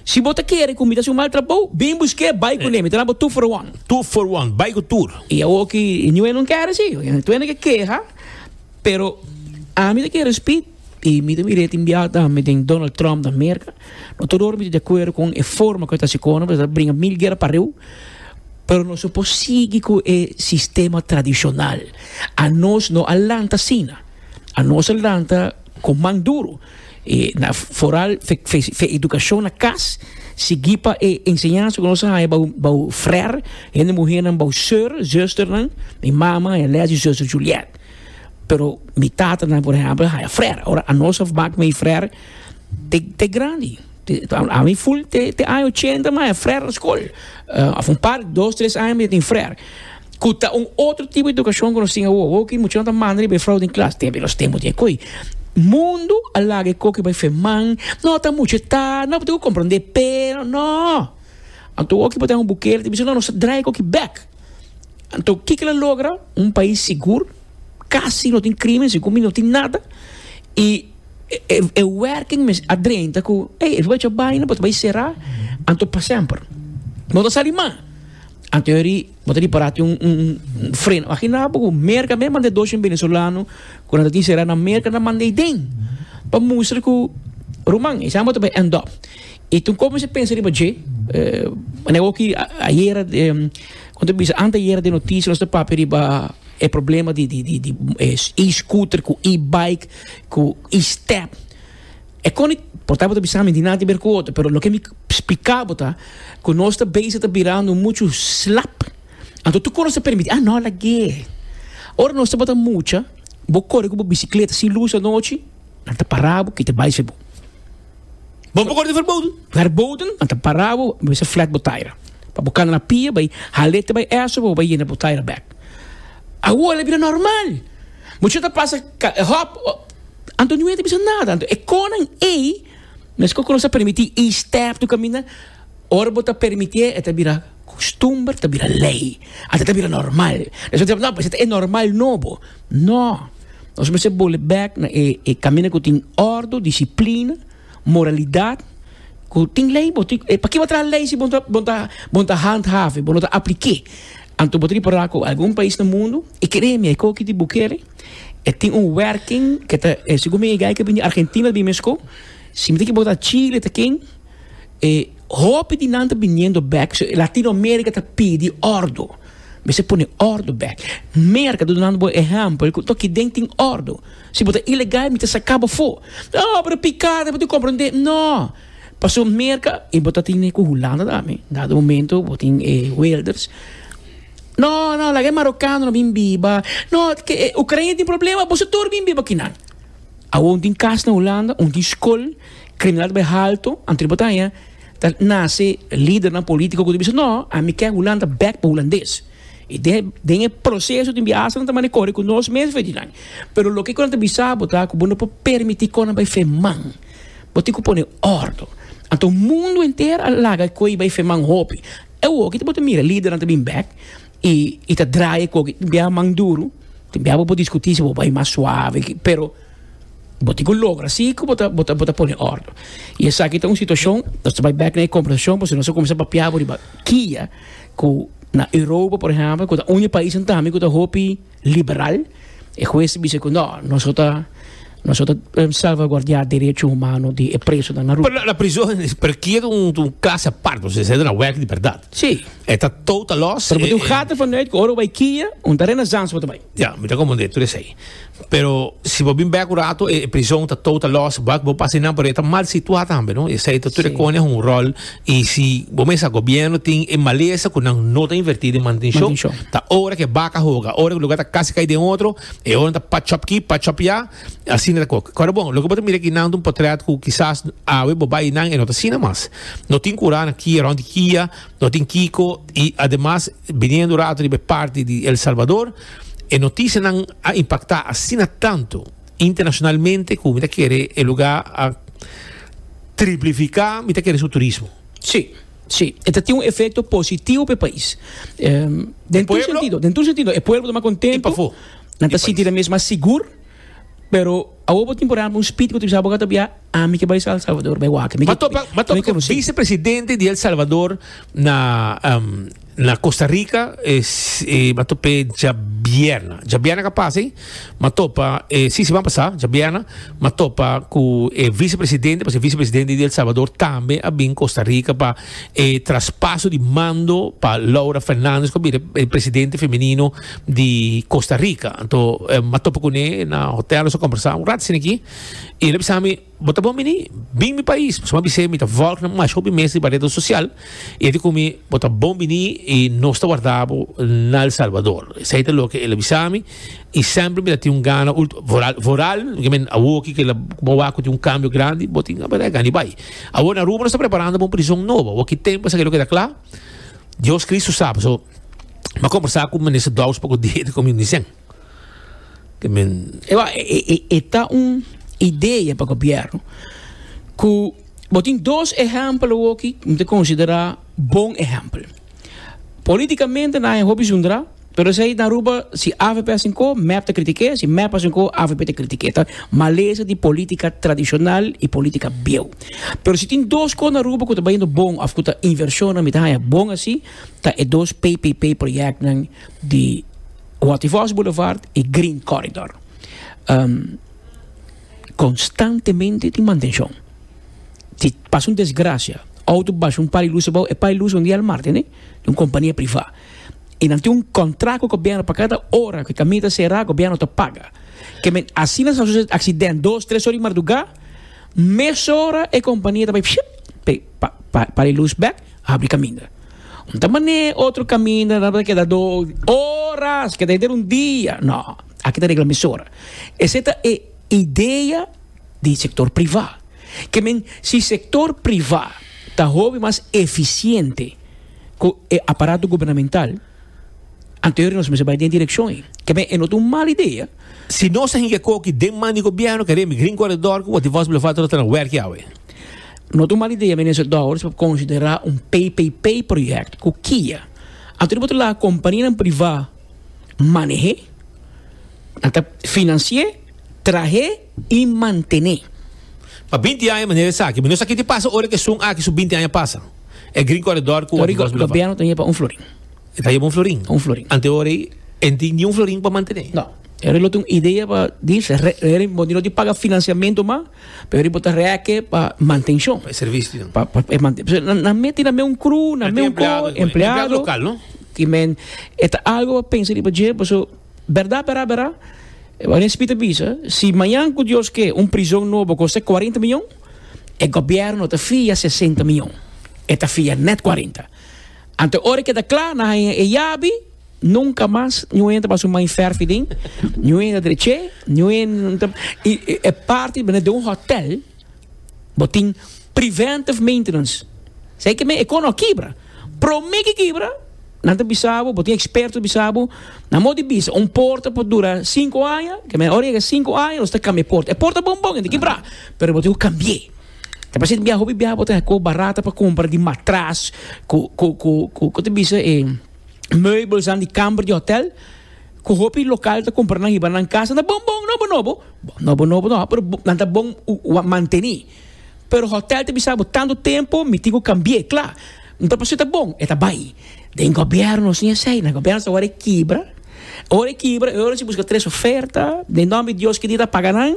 Si bo ta kere ku mi ta hasi un mal trabou, bin busk'é, bai ku n'e, mi ta dal bo tur for one. Tur for one, bai ku tur. I awor ki Niue no kere si. Niue ta kere keha, pero ami ta kere spit. I mi ta mir'é tin biaha tambe den Donald Trump na Merka, no todor mi ta di akuerdo kon e forma ku e ta hasi kono, pasobra e ta bringa mil guera pariu, pero nos no por sigui ku e sistema tradishonal. Anos no a lanta asina, anos a lanta kon man duru, i na foral fe edukashon na kas, sigui pa e enseñansa ku nos a haña bou bou frèr, hende muhénan bou sùr, zùsternan, mi mama, Elèz i zùster Julièt. Pero mi tatanan por ehempel haya frer, ora anos a mak mi frer te te grandi, ami ful te te aña ochenta mi a haya frer na skol, of un par dos tres aña mi a tin frer, ku ta un otro tipo di edukashon ku nos tin awo, awo ki muchanan ta manda riba e frou den klas, te los tempo di akoy mundu a laga e koki bai feman, no ta muchu eta, no bo tin ku komprende pe, no, anto awo ki bo ta den un bukele ta bisa no nos ta drai e koki bek. Anto kiko lo logra un pais sigur, kasi no tin krimen, sigur mi no tin nada, i e e werking mes a drenta ku ei e fuga baina bo ta bai sera anto pa semper no ta sali mas, anto yori bo ta ripará tin un un freno aginal boka Merka mes manda e dos shen venezolano ku nan ta tin sera na Merka nan manda ei den pa mustra ku ruman esei amo ta bai end up. Y tin como se pensa riba dje. Manera oki ayera, como ta bisa, anteayera den noticia nos ta papia riba e problema di e-scooter cu e-bike cu e-step. E con di, por tapo ta bisami tin nada que ber cu otro, pero loke mi splica bo ta cu nos ta bezig ta birando mucho slap. Anto toco nos ta permiti, ah no lag'e. Ora nos tabata mucha, bo core cu bo bicicleta sin luz anochi, nan ta para bo, kita bicycle bo. Bo por corte verboden. Verboden, anta parabo, bo bisa flat botaira. Pa bo cana na pia, bai halete bai eso, bo bai yena botaira bek. Awola bira normal. Bo chata pasa hop, anto ni wete bisa nada. Anto e conan ey, mes cu nos a permiti e step to camina, ora bo ta permiti e ta bira costumber, ta bira ley. Anta ta bira normal. Nos a bisa, no, pues e normal nobo. No! Nos mester bole bek na e e kaminda ku tin ordo, disiplina, moralidat, ku tin lei bo. Pakiko bo ta traha lei si bo ta bo ta bo ta handhaven, bo no ta aplik'é? Anto bo ta repará ku algun pais na mundu, e kere mi, e ko kiti bo kere, e tin un wèrking ke ta, segun mi e guy ke bini Argentina a bin mesko, si bo ta chile ta ken E hopi di nan ta biniendo bek, so Latino America ta pidi ordo. Mester pone ordo bek. Merca, ta dunando bo ehempel cu toki den tin ordo. Si bo ta ilegal, mi ta saca bo fo. Oh, pero picada, bo tin comprende. No! Paso Merca, y bo ta tine cu Hulanda tambe, dado momento bo tin e welders. No, no, laga e Marocaanonan bin biba. No, ke e Ucraina tin problema, boso tur bin biba kinan. Awor un tin cas na Hulanda, un tin scol, Criminal ta bay halto, anto di bo ta haña ta nace lidernan politico cu ta bisa no, ami ke Hulanda bek pa Hulandes. Y den, den e proceso tin biahasanan ta manda core cu nos mes fedjinan. Pero loke cu nan ta bisa bo ta cu bo no por permiti conan bay fe man. Bo tin cu pone ordo. Anto mundo enter a laga coe bay fe man hopi. Awoke ta bo ta mira lidernan ta bin bek. y y ta draaie cu oki tin biaha man duru tin biaha bo por discuti si bo bai mas suave ki pero bo tin cu logra si cu bo ta bo ta bo ta pone orde y esaki ta un situacion nos ta bai back na e conversacion pasobra nos a cuminsa papia bo riba kia cu na europa por ejemplo cu ta un di e pais tambe cu ta hopi. liberal, e hues bisa ku no, noso ta noso ta salvaguardia derecho humano di e presonan na ruta. Pero na prison rekier un klas apart, osea esei ta na wèk di bèrdat. Sí. E ta total lòs. Pero bo tin un gata vanuit ku ora bo bai kia, un terena zans bo ta bai. Ya, mi ta komprendé tur esei. Pero si bo bin bèk un rato e prison ta total lòs, wak bo pasa innan, pero e ta mal situá tambe, no? Esei ta tur e kòne un ròl. Y si bo mesa gobierno tin e malesa cu nan no ta inverti den mantencion, ta ora cu e baca hoga, ora cu e lugar ta casi cay den otro, e hoga nan ta patch up aki, patch up ya, asina ta coke. Ora bon, loke bo ta mira aki nan ta un potret cu kisas awe bo bay nan e no ta asina mas. No tin cura na kia, rond di kia, no tin kico y ademas biniendo un rato riba e parti di El Salvador e noticianan a impacta asina tanto Internacionalmente cu mi ta kere e luga a triplifica mi ta kere su turismo. Si, si, e ta tin un efecto positivo pa e pais. Den tur sentido, den tur sentido, e pueblo ta mas contento, nan ta sinti nan mes mas sigur, pero awo bo tin por hab un spit cu ta bisa bo gata bia ami ke bai sa El Salvador, bai wak. Mi ta topa cu vicepresidente di El Salvador na. Na Costa Rica e ba top'é djabièrna, djabièrna ka pasa ei, m'a topa e si siman pasá djabièrna m'a topa ku e vicepresidente, pasobra e vicepresidente di El Salvador tambe a bin Costa Rica pa e traspaso di mando pa Laura Fernandez ku a bira e presidente femenino di Costa Rica. Anto m'a topa kuné na hotel nos a kombersá un rat esaki i el a bisa mi, Bo ta bon bini, bin mi pais. Suma bis'é, mi ta vòlg nan masha hopi mes riba redes sosial. I e di ku mi, Bo ta bon bini i nos ta warda bo na El Salvador. Esei ta loke el a bisa mi. I sèmpri mi ta tin un gana, vooral, vooral men awoki ku el a wak ku tin un kambio grandi, bo tin apretá e gana di bai. Awor na Aruba nos ta preparando pa un prison nobo. Awor ki tempu a sa ke loke ta kla, Dios Kristu sa. Pasobra mi a kombersá ku Minister Douws poku dia i el a di ku mi, Undisen, E ta un idea pa gobierno cu bo tin dos ehempel awoki bo ta considera bon ehempel politicamente nan ayo hopi zundra pero esey ta Aruba si avp a sinco mep ta critique si mep a sinco avp ta critique ta malesa di politica tradicional y politica bieuw pero si tin dos cos na Aruba cu ta bayendo bon of cu ta inversionan mi ta haya bon asi ta e dos ppp projectnan di. Waterfalls Boulevard y Green Corridor constantemente tin mantencion. Si pasa un desgracia, auto basha un par di luces bao, e par di luces un dia al martes, di un compania priva. Y nan tin un contract cu e gobierno pa cada ora cu e camino ta cera, gobierno ta paga. Ke men asina sa sucede accident dos, tres ora di marduga, mesora e compania ta bay pa e luz bek, habri caminda. Un ta manera e otro caminda nan ta keda do horas keda henter un dia no aki ta regla mesora ese ta e idea di sector priva ke men si sector priva ta hopi mas eficiente cu e aparato gubernamental anto e nos mester bai den e direccion ei ke men e no ta un mal idea. Si nos a hinca coki den man di gobierno ke rembi Green Corredor cu Waterfalls Boulevard ta lo ta na werki awe. No ta un mal idea, Minister Dowers, pa konsiderá un PPP-projèkt ku Kia. Anto di bo ta laga kompanianan privá maneh'é, nan ta finansié, trah'é i mantené. Pa binti aña manera esaki. Mi no sa ke ta pasa ora ku esun aki su binti aña pasa. E Green Corredor ku Waterworks Boulevard. Gobièrnu ta yeba un florin. E ta yeba un florin. Un florin. Ante ora ei e no tin niun florin pa mantené. No. E lo ta un idea pa di, bo no tin paga finansiamentu mas. Pero riba bo ta rèkè pa mantenshon. Pa e servisio nan. Pa, pa e mante-. Pasobra nan, nan mete nan meun kru, nan meun ko. Nan tin empleado. Empleado. Empleado lokal, no? Ki men, e ta algu pa pensa riba dje, paso bèrdat, bèrdat, bèrdat, wak di NCP ta bisa, si mañan ku Dios ke, un prizon nobo koste kuarenta mion, e gobièrnu ta fia sesenta mion. E ta fia nèt kuarenta. Anto ora ke ta kla, nan haña e yabi. Nunka mas ñu hende ta basa un mai fèr fidin, ñu hende ta drech'é, ñu hende ta, i e parti den un hòtèl bo tin preventive maintenance, esei ke men e kono a kibra, promé ke kibra nan ta bisa bo, bo tin eksperto bisa bo, nan mo di bisa un port por dura sinku aña, ke men ora yega sinku aña nos ta kambia e port, e port ta bon bon i ta kibrá, pero bo tin ku kambi'é, ta basha di biaha hopi biaha bo ta haña kos barat pa kumpra di matras ku ku ku ta bisa e. meubelnan di kamber di hotel ku hopi lokal ta kumpra nan hiba nan kas, nan ta bon bon, nobo nobo, bon nobo nobo no, pero nan ta bon ua manteni, pero hotel ta bisa bo tantu tempu mi tin ku kambie, kla, mi papia su ta bon e ta bai, den gobièrnu si esei, na gobièrnu sa wòrdu e kibra, ora e kibra e ora si buska tres oferta, den nòmber di dios kidia ta paga nan,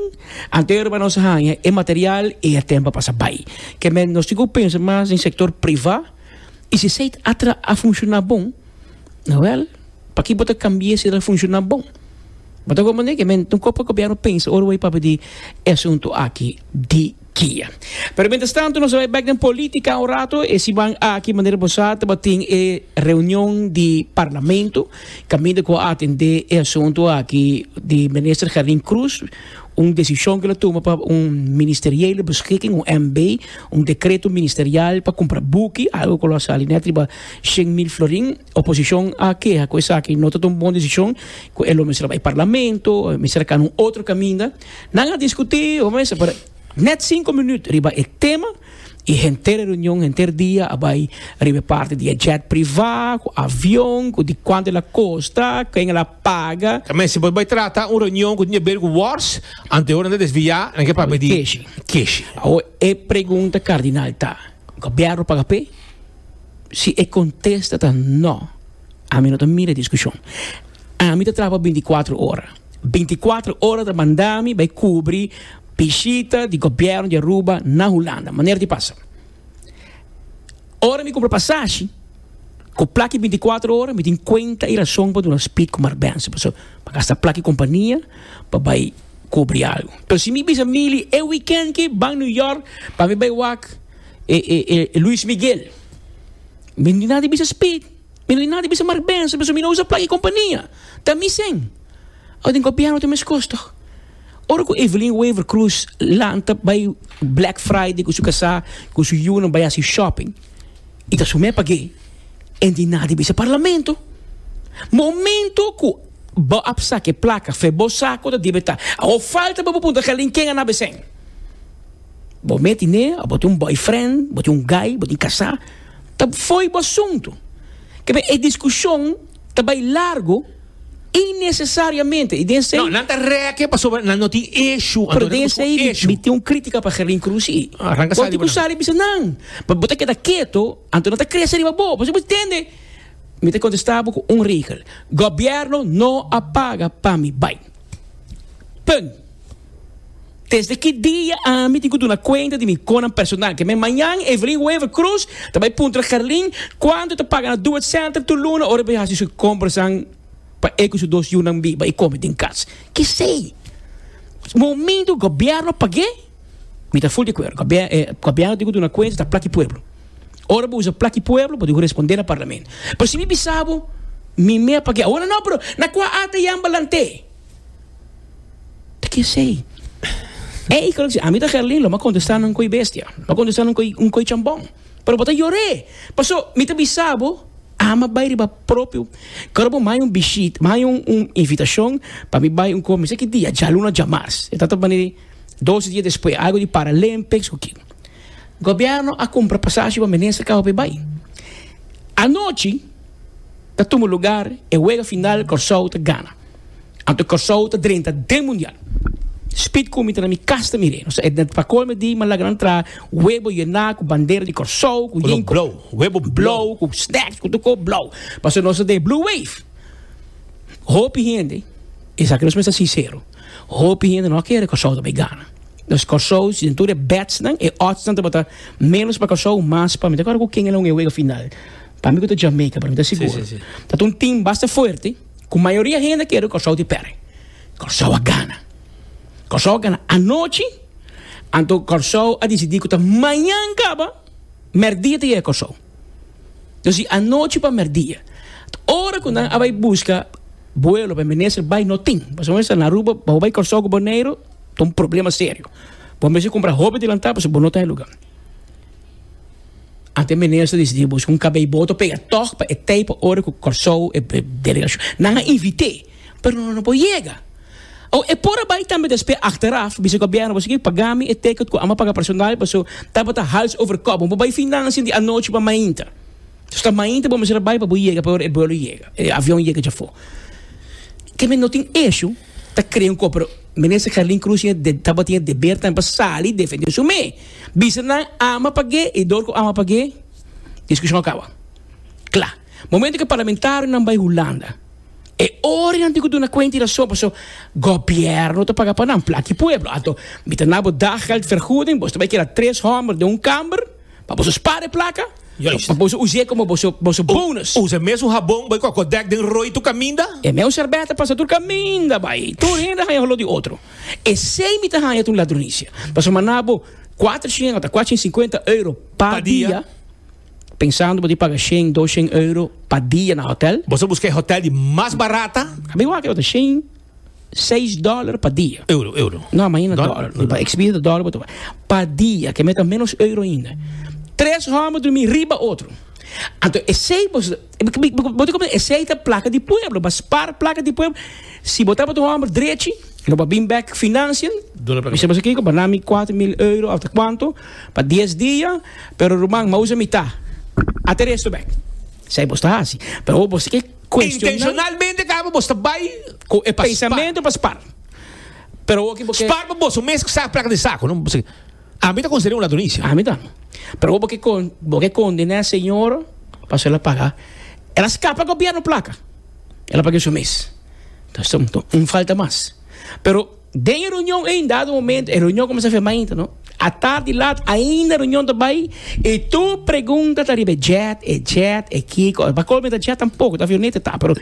anto e rubanan sa haña e material i e tempu a pasa bai, ke men nos tin ku pensa mas den sektor priva. Y si seit a tra a funciona bon, wel, paki bo ta cambie si el a funciona bon? Bo ta comprende ke men ta un copo Gobierno pensa ora wei papia di e asunto aki di kia. Pero mientras tanto nos a bai bek den politica un rato, e siman aki manera bo sa tabatin e reunion di Parlamento caminda cu a atende e asunto aki di Minister Gerlin Croes, un desishon ku lo tuma pa un ministeriële beskiking un MB un dekreto ministerial pa kumpra buki algo ku lo a sali net riba shen mil florin oposishon a keha ku esaki no ta un bon desishon ku e lo mester a bai parlamento e mester a kana un otro kaminda nan a diskutí ho mester pero net sinku minüt riba e tema i henter reunion henter dia a bai riba e parti di e jet priva ku avion ku di kuantu el a kosta ken el a paga. Ta mester por bai trata un reunion ku tin haber ku wors ante hora nan ta desviá nan ke papia di Keshi. Keshi. Awor e pregunta kardinal ta, Gobièrnu paga p'e? Si e kontesta ta nò, ami no ta mira e diskushon. Ami ta traba bintikwatro ora. Bintikwatro ora ta manda mi bai kubri bishita di gobièrnu di Aruba na Hulanda. Manera di pasa. Ora mi kumpra pasashi. Ku plaki binticuatro ora mi tin kuenta i rason pa duna spit ku marbènse pasobra mi gasta plaki kompania pa bai kubri algu. Pero si mi bisa Mili e wikènt ki ban New York pa mi bai wak e e Luis Miguel, mi no nada di bisa spit, mi no nada di bisa marbènse pasobra mi no usa plaki kompania, ta mi sèn. Awo'e den gobièrnu ta meskos tòg. Ora cu Evelyn Wever Croes lanta bay Black Friday cu su casá, cu su yiunan bay haci shopping, y ta su mes pagué, en tin nada di bisa Parlamento. Momento cu bo a saca e placa fen bo saco ta debe ta. Awor falta pa bo puntra Gelin ken a na besen. Bo meti ne of bo tin un boyfriend, bo tin un guy, bo tin casá, ta fo'i bo asunto. Kebe e discusion. Ta bai largo innesesariamente i den sei. No, nan ta rèkje pasobra nan no tin eshu. Pero den sei mi tin un krítika pa Gerlin Cruz i. Aranka sali bo nan. Bo tin ku sali bisa nan. Bo bo ta keda keto, anto nan ta krese riba bo. Pasobra bo tende. Mi ta kontestá bo ku un regel. Gobièrnu no a paga pa mi bai. Punt. Desde ki dia ami tin ku duna kuenta di mi konan personal? Ke me mañan Evelyn Wever Croes ta bai puntra Carlin kuantu e ta paga na Duet Center tur luna ora e bai hasi su komprasan pa e ku su dos yunan biba i kome den kas? Kesei? Momento gobièrnu a pag'é? Mi ta full di acuerdo. Gobierno tin cu duna cuenta ta plaki pueblo. Ora bo usa plaki pueblo bo tin cu responde na parlamento. Pero si mi bisa bo mi mea pag'e. Awor no pero na cua ata yamba lant'e? Ta kesey. Ey kos ami ta Gerlin lo mi a contesta nan koy bestia. Lo mi a contesta nan koy un koy chambon. Pero bo ta yore. Paso mi ta bisa bo ami a bay riba propio ora bo mi a hay un bishit mi a hay un invitacion pa mi bay un cor mi sa ki dia djaluna djamars. Dos dia despues algo di Paralympics cu ki. Gobierno a cumpra pasashi pa Menester Cabo Bay bay. Anochi ta tuma lugar e wega final Corsou ta gana. Anto Corsou ta drenta den Mundial. Speed Cumi ta na mi cas ta mire. Nos ta pa colme di malagran tra webo yena cu bandera di Corsou cu yin cu. Color blow. Webo blow. Blow cu snacks cu tur cos blow. Pasobra nos ta den Blue Wave. Hopi hende esaki nos mester sincero. Hopi hende no a kere Kòrsou ta bai gana. Nos Kòrsou, si den tur e bètsnan, e òdsnan tabata ménos pa Kòrsou, mas pa mi. Ta kòrda ku ken el a un e wega final? Pa mi ku ta Jamaica, pero mi ta sigur. Ta un tim basta fuerte ku mayoria hende a kere Kòrsou di pèrdè. Kòrsou a gana. Kòrsou a gana anochi, anto Kòrsou a disidí ku ta mañan kaba, mèrdia ta yega Kòrsou. Nos di anochi pa merdia. Ora cu nan a bay busca vuelo pa Minister bay no tin. Pasobra bo esta na Aruba, pa bo bay Corsou cu Boneiru ta un problema serio. Bo mester cumpra hopi dilanta pasobra bo no ta e lugar. Anto e Minister a decidi busca un cabeyboot pa pega toch pa e tey pa ora cu Corsou e delegacion. Nan a invite. Pero no por yega. O e por a bai tambe despe achteraf bisa gobierno bo esaki paga mi e ticket cu amo paga personal paso tabata hals over kop. Bo bai fin dan asin di anochi pa mainta. Dus ta mainta bo mester a bai pa bo yega pa ora e buelo yega, e avion yega dja for. Te me no tin esho ta crea un cor pero minister Carlin Cruz tin e tabatin e deber tambe pa sali defende su me. Bisa nan amo a pag'e y door cu amo a pag'e discusion a caba. Cla. Momento cu e parlamentarionan bai Hulanda. E orinan tin cu duna cuenta y razon, paso gobierno ta paga pa nan, plata di pueblo. Anto, mi ta nabo daggeld vergoeding, boso ta bay keda tres homber den un kamber pa boso spara e placa, pa boso us'é como boso, boso bonus. Usa e mesun habon, bay cu a Kodak den rooi tur caminda. E mesun serbeta pasa tur caminda bay. Tur hende haya holor di otro. Esey mi ta haya ta un ladronicia. Paso manabo cuatrocientos ota cuatrocientos y cincuenta euro pa dia. Pensando bo di paga shen, dos shen euro pa dia na hotel? Boso buska e hotel di mas barata? A bin wak e otro shen, seis dollar pa dia. Euro, euro. No, a mahina dollar. Di pa exhibida ta dollar bo ta bay. Pa dia, ke me ta menos euro ainda. Tres homber drumi riba otro. Anto esey bo. Bo ta comprende? Esey ta placa di pueblo, ba spar placa di pueblo. Si bo tabata un homber drechi, lo ba bin bek financian, Duna pa mi. Bisa boso kiko, ba na mi cuater mil euro of ta cuanto pa dies dia, pero ruman, m'a usa mita, a ta resto bek. Esey boso ta haci. Pero awo boso ke cuestionan. Intencionalmente caba boso ta bay cu e pa spar. Pensamento pa spar. Pero awo ki bo ke. Spar pa boso mes cu sa placa den saco, no? Ami ta considera un ladronis. Ami ta. Pero bo ke con, bo ke condena señor paso el a paga. El a scapa gobierno placa. El a paga su mes. Ta sum to un falta mas. Pero den e reunion ey dado momento e reunion comensa firma inter no. A tar di lat ainda reunion ta bay y tur pregunta ta riba e jet, e jet, e kico. Pa colmo ta jet tampoco ta avioneta ta pero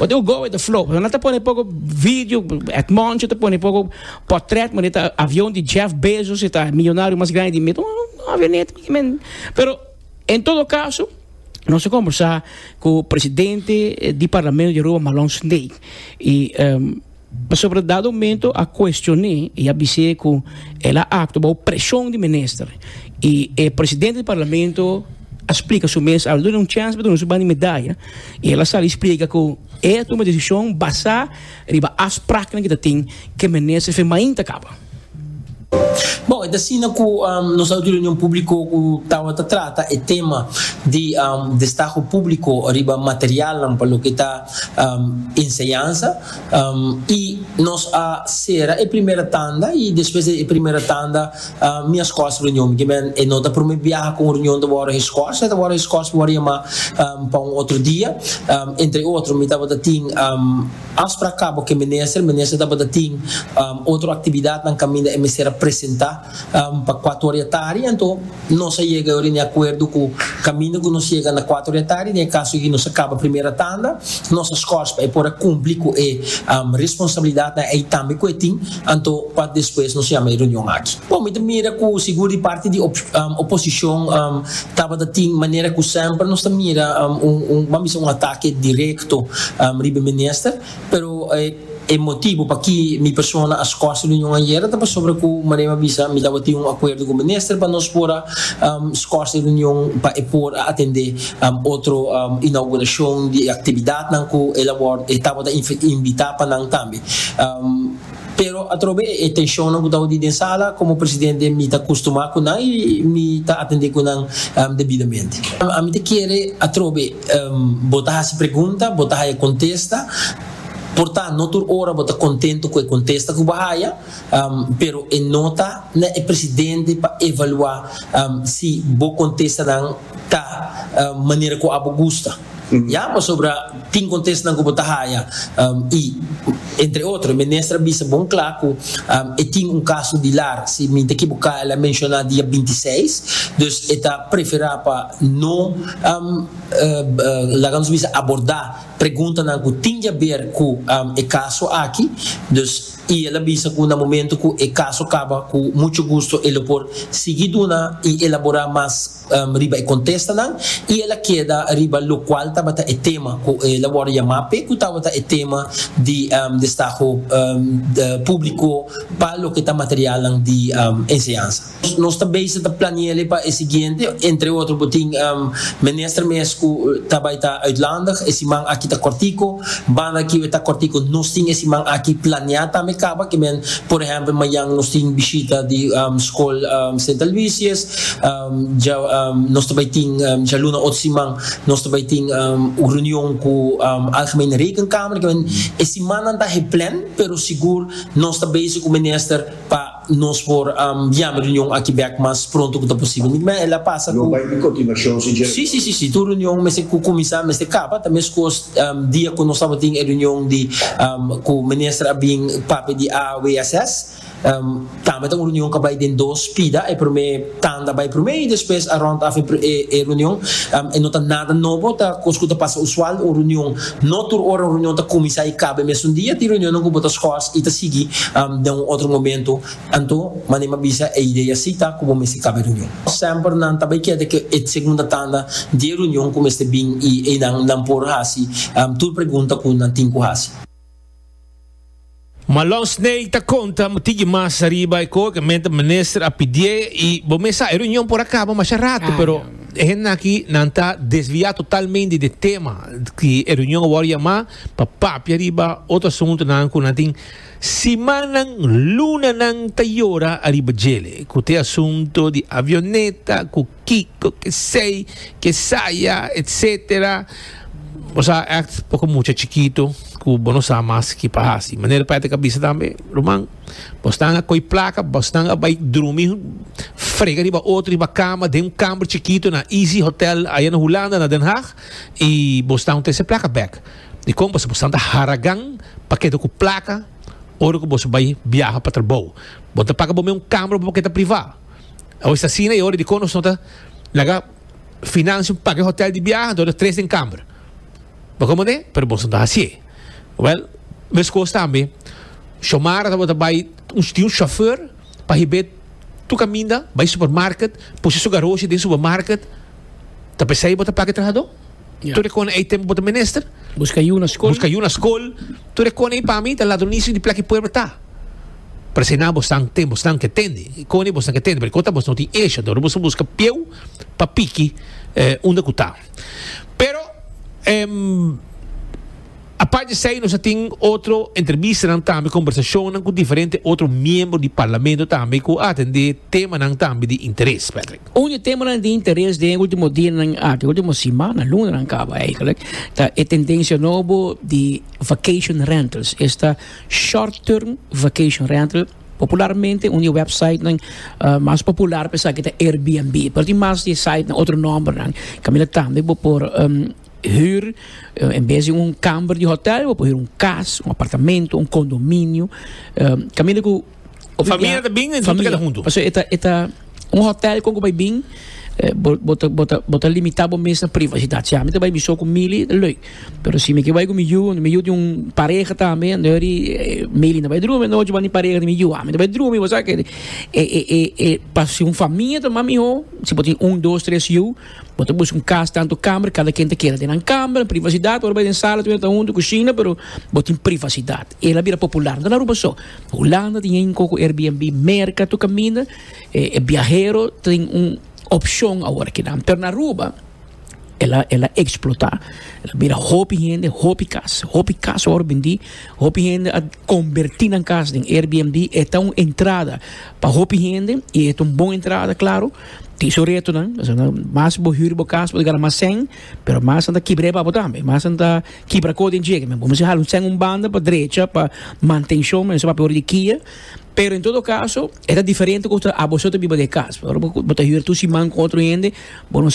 ot u go with the flow. Paso nan ta pone poco video, Edmoncho ta pone poco. Portret mane ta avion di Jeff Bezos e ta milionario mas grandi di mindo. Un avioneta mane men. Pero en todo caso nos a conversa cu presidente di parlamento di Aruba Malon Sndei y um, pasobra dado momento a cuestion'e y a bis'e cu el a actua bao presion di minister y e presidente di parlamento a splica su mes awe duna un chance pa duna su banda di medaya y el a sali splica cu e a tuma decision basa Riba afspraknan ki ta tin ke Menester fe mainta kaba. Bon, e ta asina ku nos a di reunion públiko ku tabata trata e tema di destaho públiko riba materialnan pa loke ta enseñansa i nos a sera e primera tanda i despues di e primera tanda Mi a scos reunion, mi kimen e no ta prome biaha cu un reunion ta worde he scos, he ta worde he scos mi worde yama pa un otro dia, entre otro mi tabata tin afspraak cabo cu e minister, minister tabata tin otro actividad nan caminda e mester a presenta pa cuatro ora di tardi, anto nos a yega yori ne acuerdo cu caminda cu nos yega na cuatro ora di tardi, den e caso aki nos a caba primera tanda, nos a scos pa e por a cumpli cu e responsabilidad nan y tambe cu e tin Anto pa despues nos yama e reunion aki. Bon, mi ta mira ku sigur di parti di oposishon tabata tin manera ku semper nos ta mira un, ban bisa un atake direkto riba e minister, pero e motibu pa ki mi persona a skos e reunion ayera ta pasobra ku Marema a bisa mi tabatin un akuerdo ku minister pa nos por a skos e reunion pa e por a atende otro inaugurashon di e aktividatnan ku e tabata invita pa nan tambe. Pero atrobe e tenshonnan ku tabata den sala, komo presidente mi ta kustumá ku nan i mi ta atendé ku nan debidamente. Ami ta kere atrobe bo ta hasi pregunta, bo ta haya kontesta, por ta no tur ora bo ta kontentu ku e kontesta ku bo haya, pero e no ta na e presidente pa evaluá si bo kontestanan ta manera ku abo gusta ya pasobra tin kontesnan ku bo ta haya i entre otro e minister a bisa bon kla ku e tin un kaso di lar si mi ta kiboká el a menshoná dia binti i seis dus e ta preferá pa no laga nos bisa abordá preguntanan ku tin di haber ku e kaso aki dus. y el a bisa cu na momento cu e caso caba cu mucho gusto e lo por sigui duna y elabora mas riba e contestanan y el a keda riba locual tabata e tema cu el a wordo yama pe cu tabata e tema di destaho publico pa loke ta materialnan di enseñansa. Nos ta bezig ta plane'le pa e siguiente, entre otro bo tin minister mes cu ta bay ta uitlandig, e siman aki ta cortico, banda aki e ta cortico nos tin e siman aki planea tambe caba que men, por ehempel mayan nos tin bishita di School Sint Aloysius, nos ta bay tin djaluna otro siman nos ta bay tin un reunion cu Algemene Rekenkamer, e simannan ta geplan pero sigur nos ta bezig cu minister pa. Nos por biam e reunion aki bek mas pronto cu ta posibel. Nick mea el a pasa cu. Lo bay di continuacion si dje. Si, si, si. Tur reunion mester cu cuminsa, mester caba. Ta mescos dia cu nos tabatin e reunion di cu minister a bin papia di AWSS. Tambe ta un reunion cu a bay den dos pida. E prome. Tanda bai prome y despues a rond af e reunion. E no ta nada nobo, ta cos cu ta pasa usual. Un reunion, no tur ora un reunion ta cuminsa y caba e mesun dia. Tin reunionnan cu bo ta schors y ta sigui den un otro momento. Anto, mane mi a bisa, e idea si ta cu bo mester caba e reunion. Semper nan ta bai keda cu e segunda tanda di e reunion cu mester bin y eynan nan por haci tur pregunta cu nan tin cu haci. Malon Snake ta konta un tigi mas ariba e koe ku e mente minister a pidié i bo mes sa e reunion por a kaba masha ratu pero e hendenan aki nan ta desviá totalmente di e tema ku e reunion a wòrdu yamá pa papia riba otro asuntunan ku nan tin simannan lunanan ta yora ariba djele ku ta e asunto di avioneta ku Kiko, kesey, kesaya, etcetera. Bo sa act poko mucha chikitu ku bo no sa mas ke pa hasi. Manera pa e tabata bisa tambe, Ruman, bo stan a koy plaka, bo stan a bai drumi frega riba otro riba kama den un kamber chikitu na Easy Hotel aya na Hulanda, na Den Haag, i bo stan tese plaka bek. Dikon pasobra bo stan ta haragan pa keda ku plaka ora ku bo bai biaha pa trabou. Bo ta paga bo mes un kamber pa bo keda privá. Awor es asina y ora dikon nos no ta laga financia un paket hotel di biaha anto ta tres den camber. Bo komo den? Pero boso no ta hasié. Wel, meskos tambe Shomara ta bo ta bai tin un chauffeur pa hib'é tur kaminda bai supermarket, pusi su garoshi den supermarket. Ta pesai bo ta paga e trahadó? Ya. Tur e kone ei tempo bo ta menester? Buska yu na skol. Buska yu na skol. Tur e kone ei pa mi ta ladronisio di plak e pueblo ta. Parse na bos nan ten, bos nan ke tende. E kone bos nan ke tende, pero e kota bos no tin esha. Dor bos a buska pieu pa piki eh unda ku ta. Pero em. Apart di esei nos a tin otro entrebistanan tambe, kombersacionnan ku diferente otro miembro di Parlamento tambe ku a atendé temanan tambe di interes, Patrick. Un di temanan di interes den e último dianan aki, último simana, lunanan kaba eigelik, ta e tendensia nobo di vacation rentals. Esta short-term vacation rental, popularmente un di e websitenan mas popular pa esaki ta Airbnb, pero tin mas di e sitenan otro nòmbernan, kaminda tambe bo por. Huur, en bes di un kamber di hotel, bo por huur un kas, un apartamento, un kondominio. Kaminda ku Of famia ta bin, entonces keda huntu. Paso e ta, e ta un hotel kon ku bai bin, bo, bo ta, bo ta, bo ta limitá bo mes na privasidat. Si ami ta bai mi so ku Mili, ta lèk. Pero si mi ke bai ku mi yu, mi yu tin un pareha tambe, anto dor di Mili no bai drumi anochi bani pareha di mi yu. Ami ta bai drumi, bo sa ke. E, e, e, e pa si un famia ta mas mihó, si bo tin un, dos, tres yu. Bo ta busca un cas tanto camber cada ken ta keda den nan camber privacidad ora bai den sala tudu ta hunto cushina pero bo tin privacidad el a bira popular no ta na Aruba so Hulanda tin e inco cu Airbnb Merca tu caminda e biahero tin un opcion awor kinan pero na Aruba el a el a explota el a bira hopi hende hopi cas hopi cas a wor bendi hopi hende a converti nan cas den Airbnb e ta un entrada pa hopi hende y e ta un bon entrada claro Tin su retonan, asina mas bo hür bo kas, bo ta gana mas sèn, pero mas nan ta kibra e babo tambe, mas nan ta kibra ko den djege men. Bo mester hala un sèn un banda pa drecha, pa mantenshon mester papia ora di kia, pero en todo kaso e ta diferente ku ta abo so ta biba den e kas. Ora bo ta hür tur siman ku otro hende bo no sa.